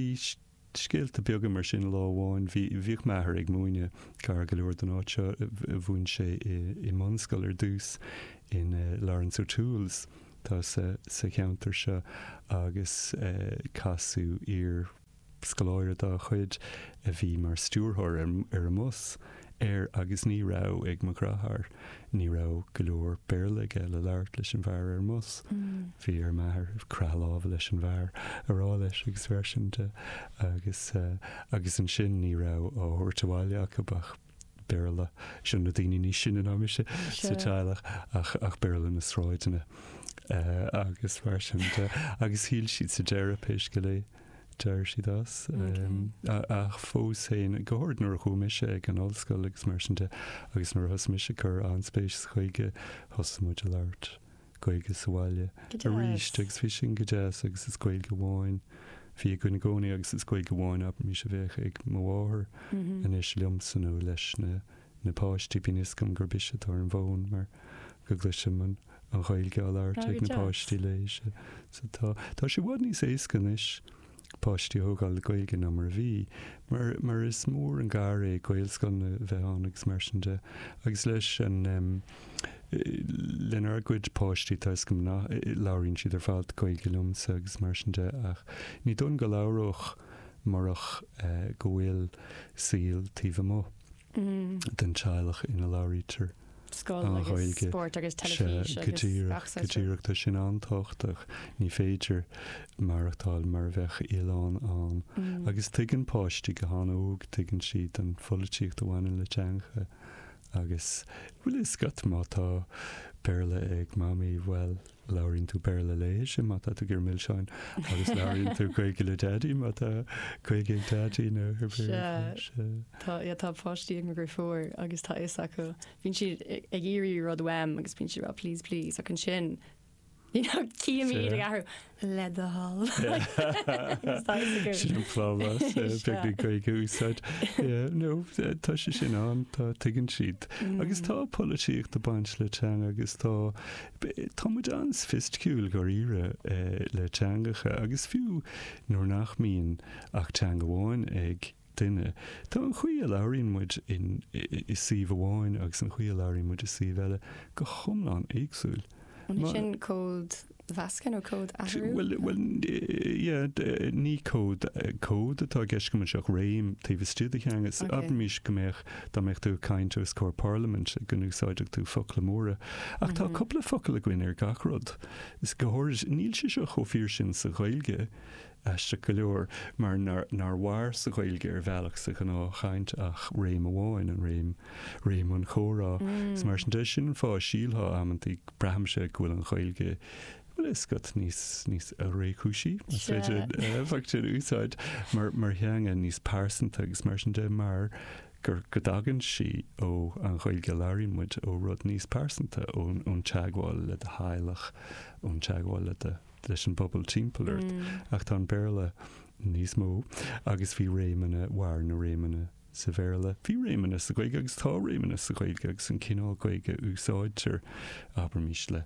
scéalta beaga mar sin lá amháin, bhí, bhíodh m'athair ag múineadh gar go leor don áit seo, mhúin sé i, i mbunscoil ar dtús in eh Laurence O'Toole's, tá sa, sa cheantar seo agus eh casadh iar, scoláire dá chuid, a bhí mar stiúrthóir ar an mbus, air agus ní raibh ag mo dheartháir, ní raibh go leor Béarla aige le labhairt leis an bhfear ar an mbus. Bhí ar m'athair croitheadh láimhe leis an bhfear a rá leis agus mar sin de agus, agus ansin ní raibh á thabhairt abhaile acu ach. Béarla. Seo na daoine níos sine ná mise sa teaghlach ach ach Béarla na sráideanna agus mar sin de. Agus shíl siad sa deireadh pé scéal é d'éirigh siad as. Ach fós féin, go háirid nuair a chuaigh mise ag an ollscoil agus mar sin de agus nuair a thosaigh mise ag cur an-spéis sa Ghaeilge thosaigh muid ag labhairt Gaeilge sa bhaile arís agus bhí sin go deas agus is Gaeilge amháin a bhí againn i gcónaí agus is Gaeilge amháin abraimis a bheadh ag mo mháthair anois liomsa nó leis na na páistí, bíonn fhios agam gurb ise atá ar an bhfón mar go gcloisim an Ghaeilge á labhairt ag na páistí léise so tá tá sé i bhfad níos éasca anois. páistí a thógáil le Gaeilge ná mar a bhí, mar mar is mór an gar é Gaelscoileanna a bheith ann agus mar sin de. Agus leis an em. lenár gcuid páistí tá is cinnte labhraíonn siad ar fad Gaeilge liomsa agus mar sin de ach ní dóigh liom go labhródh murach eh go bhfuil saol taobh amuigh. den teaghlach ina labhraítear an Ghaeilge. Sea, go díreach, go díreach. Tá sin an-tábhachtach. Ní féidir maireachtáil mar a bheadh oileán ann. Agus tuigeann páistí go han-óg, tuigeann siad an pholaitíocht a bhaineann le teangacha. Agus, bhuel, is scata, má tá Béarla ag Mamaí, bhuel, Labhraíonn tú Béarla léithi má tá tú ag iarraidh milseáin agus labhraíonn tú Gaeilge le Daidí má tá Gaeilge ag Daidí nó ag Béarla. Tá páistí agam go fóill agus tá fhios acu. Bíonn siad ag iarraidh rud uaim agus bíonn siad ag rá please please ach ansin you know cím iad ag athrú le do thoil. Sin an plá más beag na Gaeilge a úsáid. Nó tá sé sin ann tá tuigeann siad. Agus tá polaitíocht ag baint le teanga agus tá Tá muid an-soifisticiúil, dháiríre, le teangacha, agus fiú nuair nach mbíonn ach teanga amháin ag duine, tá an chaoi a labhraíonn muid i suíomh amháin agus an chaoi a labhraíonn muid i suíomh eile go hiomlán éagsúil. An é sin códmheascadh nó códathrú? Bhuel, ní cód atá i gceist agam anseo ach réim taobh istigh de theanga. Abraimis go mbeadh mbeadh tú ag caint os comhair parlaimint go n-úsáidfeadh tú focla móra. Ach tá cupla focal againn ar gach rud. Is go háirid níl sé seo chomh fíor sin sa Ghaeilge aisteach go leor mar nár mhair sa Ghaeilge ar bhealach sa ghnáthchaint ach réim amháin, an réim, réim an chomhrá. Is mar sin de, sin an fáth a sílfeá amantaí, braithimse, go bhfuil an Ghaeilge Bhuel, scaití níos, níos réchúisí, más féidir an focal sin a úsáid, mar, mar theanga níos pearsanta agus mar sin de, mar gur, go dtagann sí ó an Ghaeilge a labhraíonn muid, ó rud níos pearsanta, ón, ón teagmháil le do theaghlach, ón teagmháil le do, leis an bpobal timpeall ort. Ach tá an Béarla níos mó agus bhí réimeanna, mhair na réimeanna sa Bhéarla. Bhí réimeanna sa Ghaeilge agus tá réimeanna sa Ghaeilge agus an cineál Gaeilge a úsáidtear, abraimis, le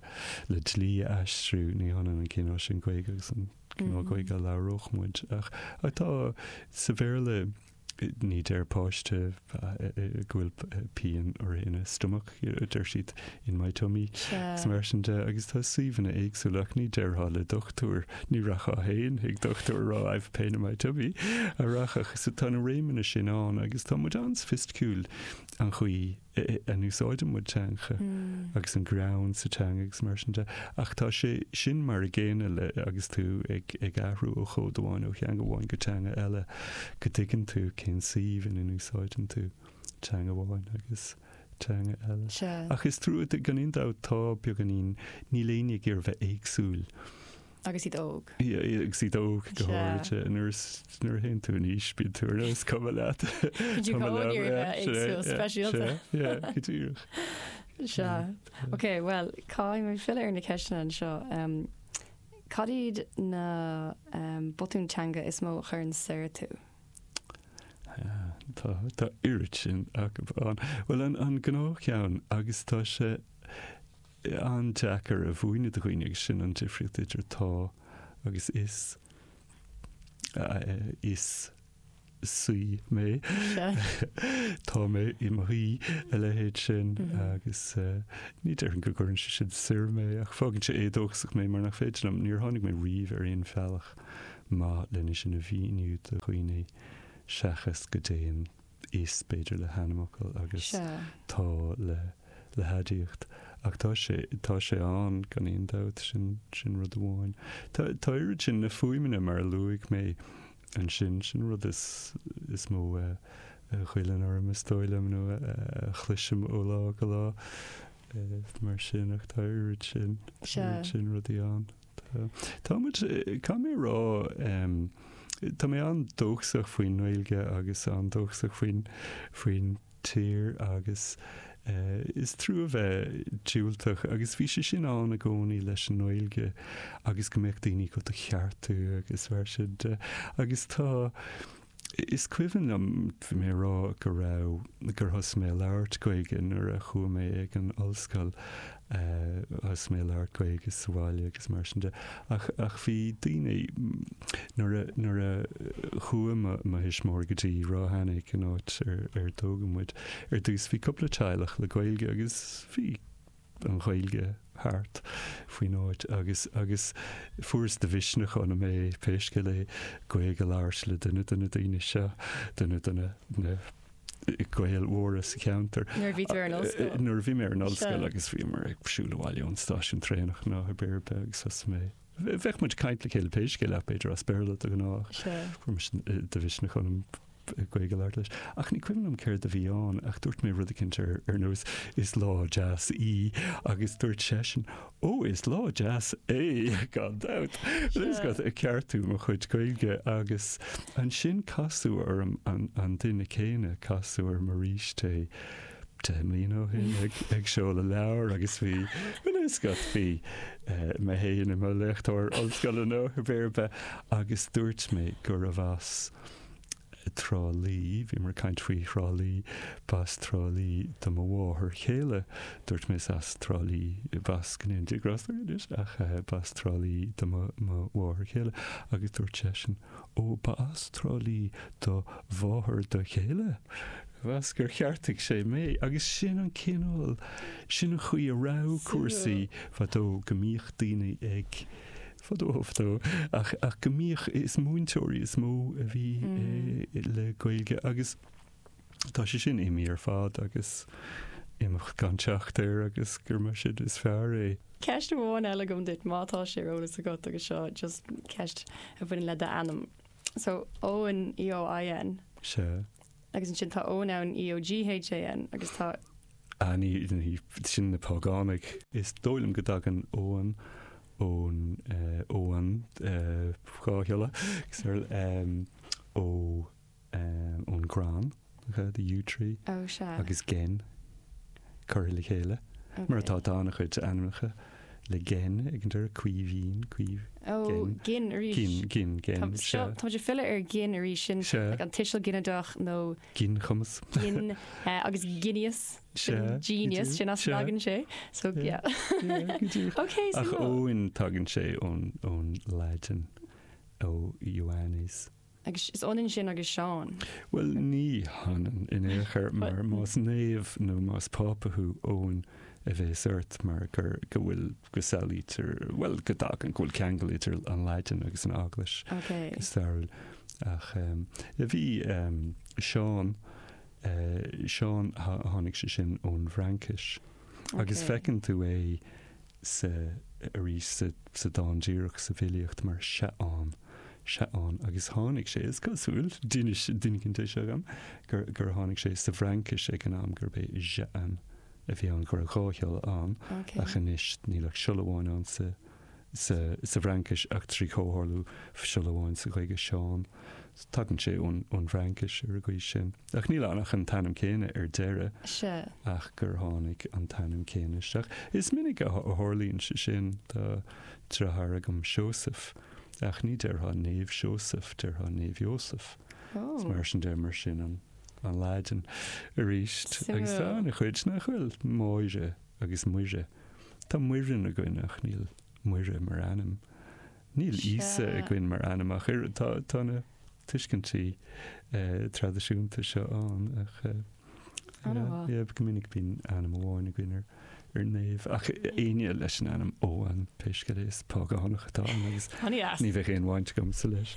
le dlí a aistriú, ní hionann an cineál sin Gaeilge agus an cineál Gaeilge a labhródh muid. Ach tá sa Bhéarla ní deir páiste go bhfuil pian air ina stomach. deir siad, in my tummy, is mar sin de, agus tá suíomhanna éagsúla ach ní déarfá le dochtúir, ní rachfá féin chuig dochtúir a rá I've a pain in my tummy, an rachfá, so tá na réimeanna sin ann agus tá muid an-soifisticiúil an chaoi a n-úsáideann muid teanga agus an greann sa teanga agus mar sin de, ach tá sé sin mar an gcéanna le, agus tú ag ag athrú ó chód amháin, ó theanga amháin go teanga eile, go dtuigeann tú cén suíomh ina n-úsáideann tú teanga amháin agus. teanga eile. Sea. Ach is trua, gan aon dabht, tá beagáinín, níl éinne ag iarraidh a bheith éagsúil. Agus iad óg. Agus iad óg, go háirithe. Nuair is, nuair a théann tú in aois, bíonn tú ar nós, is cuma leat. Bíonn tú chomh hard ar bheith éagsúil, speisialta. Sea, go díreach. Sea. Ok, bhuel, caithfidh mé filleadh ar na ceisteanna anseo. Cad iad na botúin teanga is mó a chuireann soir tú? Tá, tá oiread sin acu ann. Bhuel, an, an gnáthcheann, agus tá sé an-deacair a mhúineadh do dhaoine, agus sin an difríocht idir tá agus is, is saoi mé, tá mé i mo shaoi, a leithéid sin, agus ní déarfainn go gcuireann sé sin soir mé, ach fágann sé éadóchasach mé mar nach féidir liom, níor tháinig mé riamh ar aon bhealach maith lena sin a mhíniú do dhaoine seachas go dtéann is, b'fhéidir, le hainmfhocail agus tá le le haidiacht. Ach tá sé tá sé ann gan aon dabht, sin sin rud amháin. Tá tá oiread sin na fuaimeanna mar a luaigh mé ansin, sin an rud is is mó a a ghoilleann orm is dóigh liom nó a a chloisim ó lá go lá mar sin ach tá oiread sin oiread sin rudaí ann. Tá. Tá muid, caithfidh mé a rá, tá mé an-dóchasach faoin nGaeilge agus an-dóchasach faoin, faoin tír agus is trua a bheith diúltach agus bhí sé sin ann i gcónaí leis an nGaeilge agus go mbeadh daoine ag do cheartú agus mar sin de agus tá, Is cuimhin liom mé ag rá go raibh, gur thosaigh mé a labhairt Gaeilge nuair a chuaigh mé ag an ollscoil, thosaigh mé a labhairt Gaeilge sa bhaile agus mar sin de. Ach, ach bhí daoine, nuair a, nuair a chuaigh mo, mo thuismitheoirí go dtí Ráth Eanaigh, an áit ar, ar tógadh muid, ar dtús bhí cúpla teaghlach le Gaeilge agus bhí, an Ghaeilge thart faoin áit agus agus fuaireas de mhisneach ionam é pé scéal é Gaeilge a labhairt le duine de na daoine seo, duine de na na Gaeil mhóra sa cheantar. Nuair a bhí tú ar an ollscoil? Eh, nuair a bhí mé ar an ollscoil Sure. agus bhíomar ag siúl abhaile ón stáisiún traenach lá ar bith ar bith agus thosaigh mé, bheadh muid ag caint le chéile pé scéal é b'fhéidir as Béarla de ghnáth, Sure. fuaireas de mhisneach ionam Gaeilge labhartha leis. Ach ní cuimhin liom céard a bhí ann, ach dúirt mé rud eicínt ar ar nós Is lá deas í agus dúirt seisean Ó, is lá deas é, gan dabht! You know, just ag ceartú mo chuid Gaeilge agus ansin casadh orm an an duine céanna, casadh orm arís é deich mbliana ó shin ag ag seoladh leabhair agus bhí you know, just bhí eh, mé héin i mo léachtóir ollscoile nó cibé ar bith agus dúirt mé go raibh as Trá Lí, bhí mé ag caint faoi Thrá Lí, b'as Trá Lí do mo mháthair chéile, dúirt mé is as Trá Lí, b'as go ndéana Dia grásta uirthi anois, ach b'as Trá Lí do mo mháthair chéile agus dúirt seisean, ó, b'as Trá Lí do mháthair do chéile? Agus gur cheartaigh sé mé agus sin an cineál, sin an chaoi a raibh cúrsaí fadó go mbíodh daoine ag fadó fadó ach, ach go mbíodh, is múinteoirí is mó a bhí le Gaeilge agus tá sé sin imithe ar fad agus imeacht gan teacht air agus gura mar sin is fearr é. Ceist amháin eile agam duit, má tá sé ar eolas agat agus seo just ceist a bhaineann le d'ainm. So Eoin, EOIN. Sea. Agus ansin tá Eoghan ann, EOGHAN, agus tá. Á, sin na págánaigh. Is dóigh liom go dtagann Eoghan ón, Eoghan dhá shiolla, ón gcrann, the yew tree, agus gin, curtha le chéile, mar atá tá an-chuid ainmneacha. le gin, ag an deireadh, Caoimhín, caoimh, Ó, gin, gin arís. gin, gin, gin, Tá- seo, sea. tá muid ag filleadh ar gin arís, sin Sea. like an tuiseal ginideach nó ginchumas. gin, eh, agus genius, sin Sea, go genius, dtí, sin as sea. tagann sé. So, Sea. yeah. Sea, go dtí. Ok, so Ach no. Eoin, tagann sé ón, ón Laidin, ó Ioannes. Agus is ionann sin agus Seán. Bhuel, ní hionann in aon chor, mar más naomh nó más Pápa thú, Eoin a bhéas ort mar gur, go bhfuil, go samhlaítear, bhuel, go dtagann, go bhfuil ceangal idir an Laidin agus an Eaglais, go stairiúil. Ach bhí Seán, Seán, tháinig sé sin ón bhFraincis. Agus feiceann tú é sa, arís sa, sa dán díreach sa bhfilíocht mar Seaán, Seaán, agus tháinig sé, is cosúil, níl mé, níl mé cinnte de seo agam, gur, gur tháinig sé sa bhFraincis ag an am gurb é Jehan a bhí ann, go raibh dhá shiolla ann, ach anois níl ach siolla amháin ann sa, sa, sa bhFraincis ach trí chomhtharlú siolla amháin sa Ghaeilge, Seán. Tagann sé ón, ón bhFraincis ar an gcaoi sin. Ach níl ann ach an t-ainm céanna ar deireadh. Sea. Ach gur tháinig an t-ainm céanna isteach. Is minic a tharlaíonn sé sin. Tá deartháir agam, Seósaf, ach ní déarfá Naomh Seósaf, déarfá Naomh Iósaef. Is mar sin de, mar sin an Laidin arís. Agus sa chuid nach bhfuil, Máire agus Muire. Tá Muireann againn ach níl Muire mar ainm. Níl Íosa againn mar ainm ach oiread. Tá na. tuiscintí traidisiúnta seo ann ach go minic bíonn ainm amháin againn ar naomh ach aoinne leis an ainm Eoghan pé scéal é is págánach atá ann agus ní bheadh aon bhaint agamsa leis.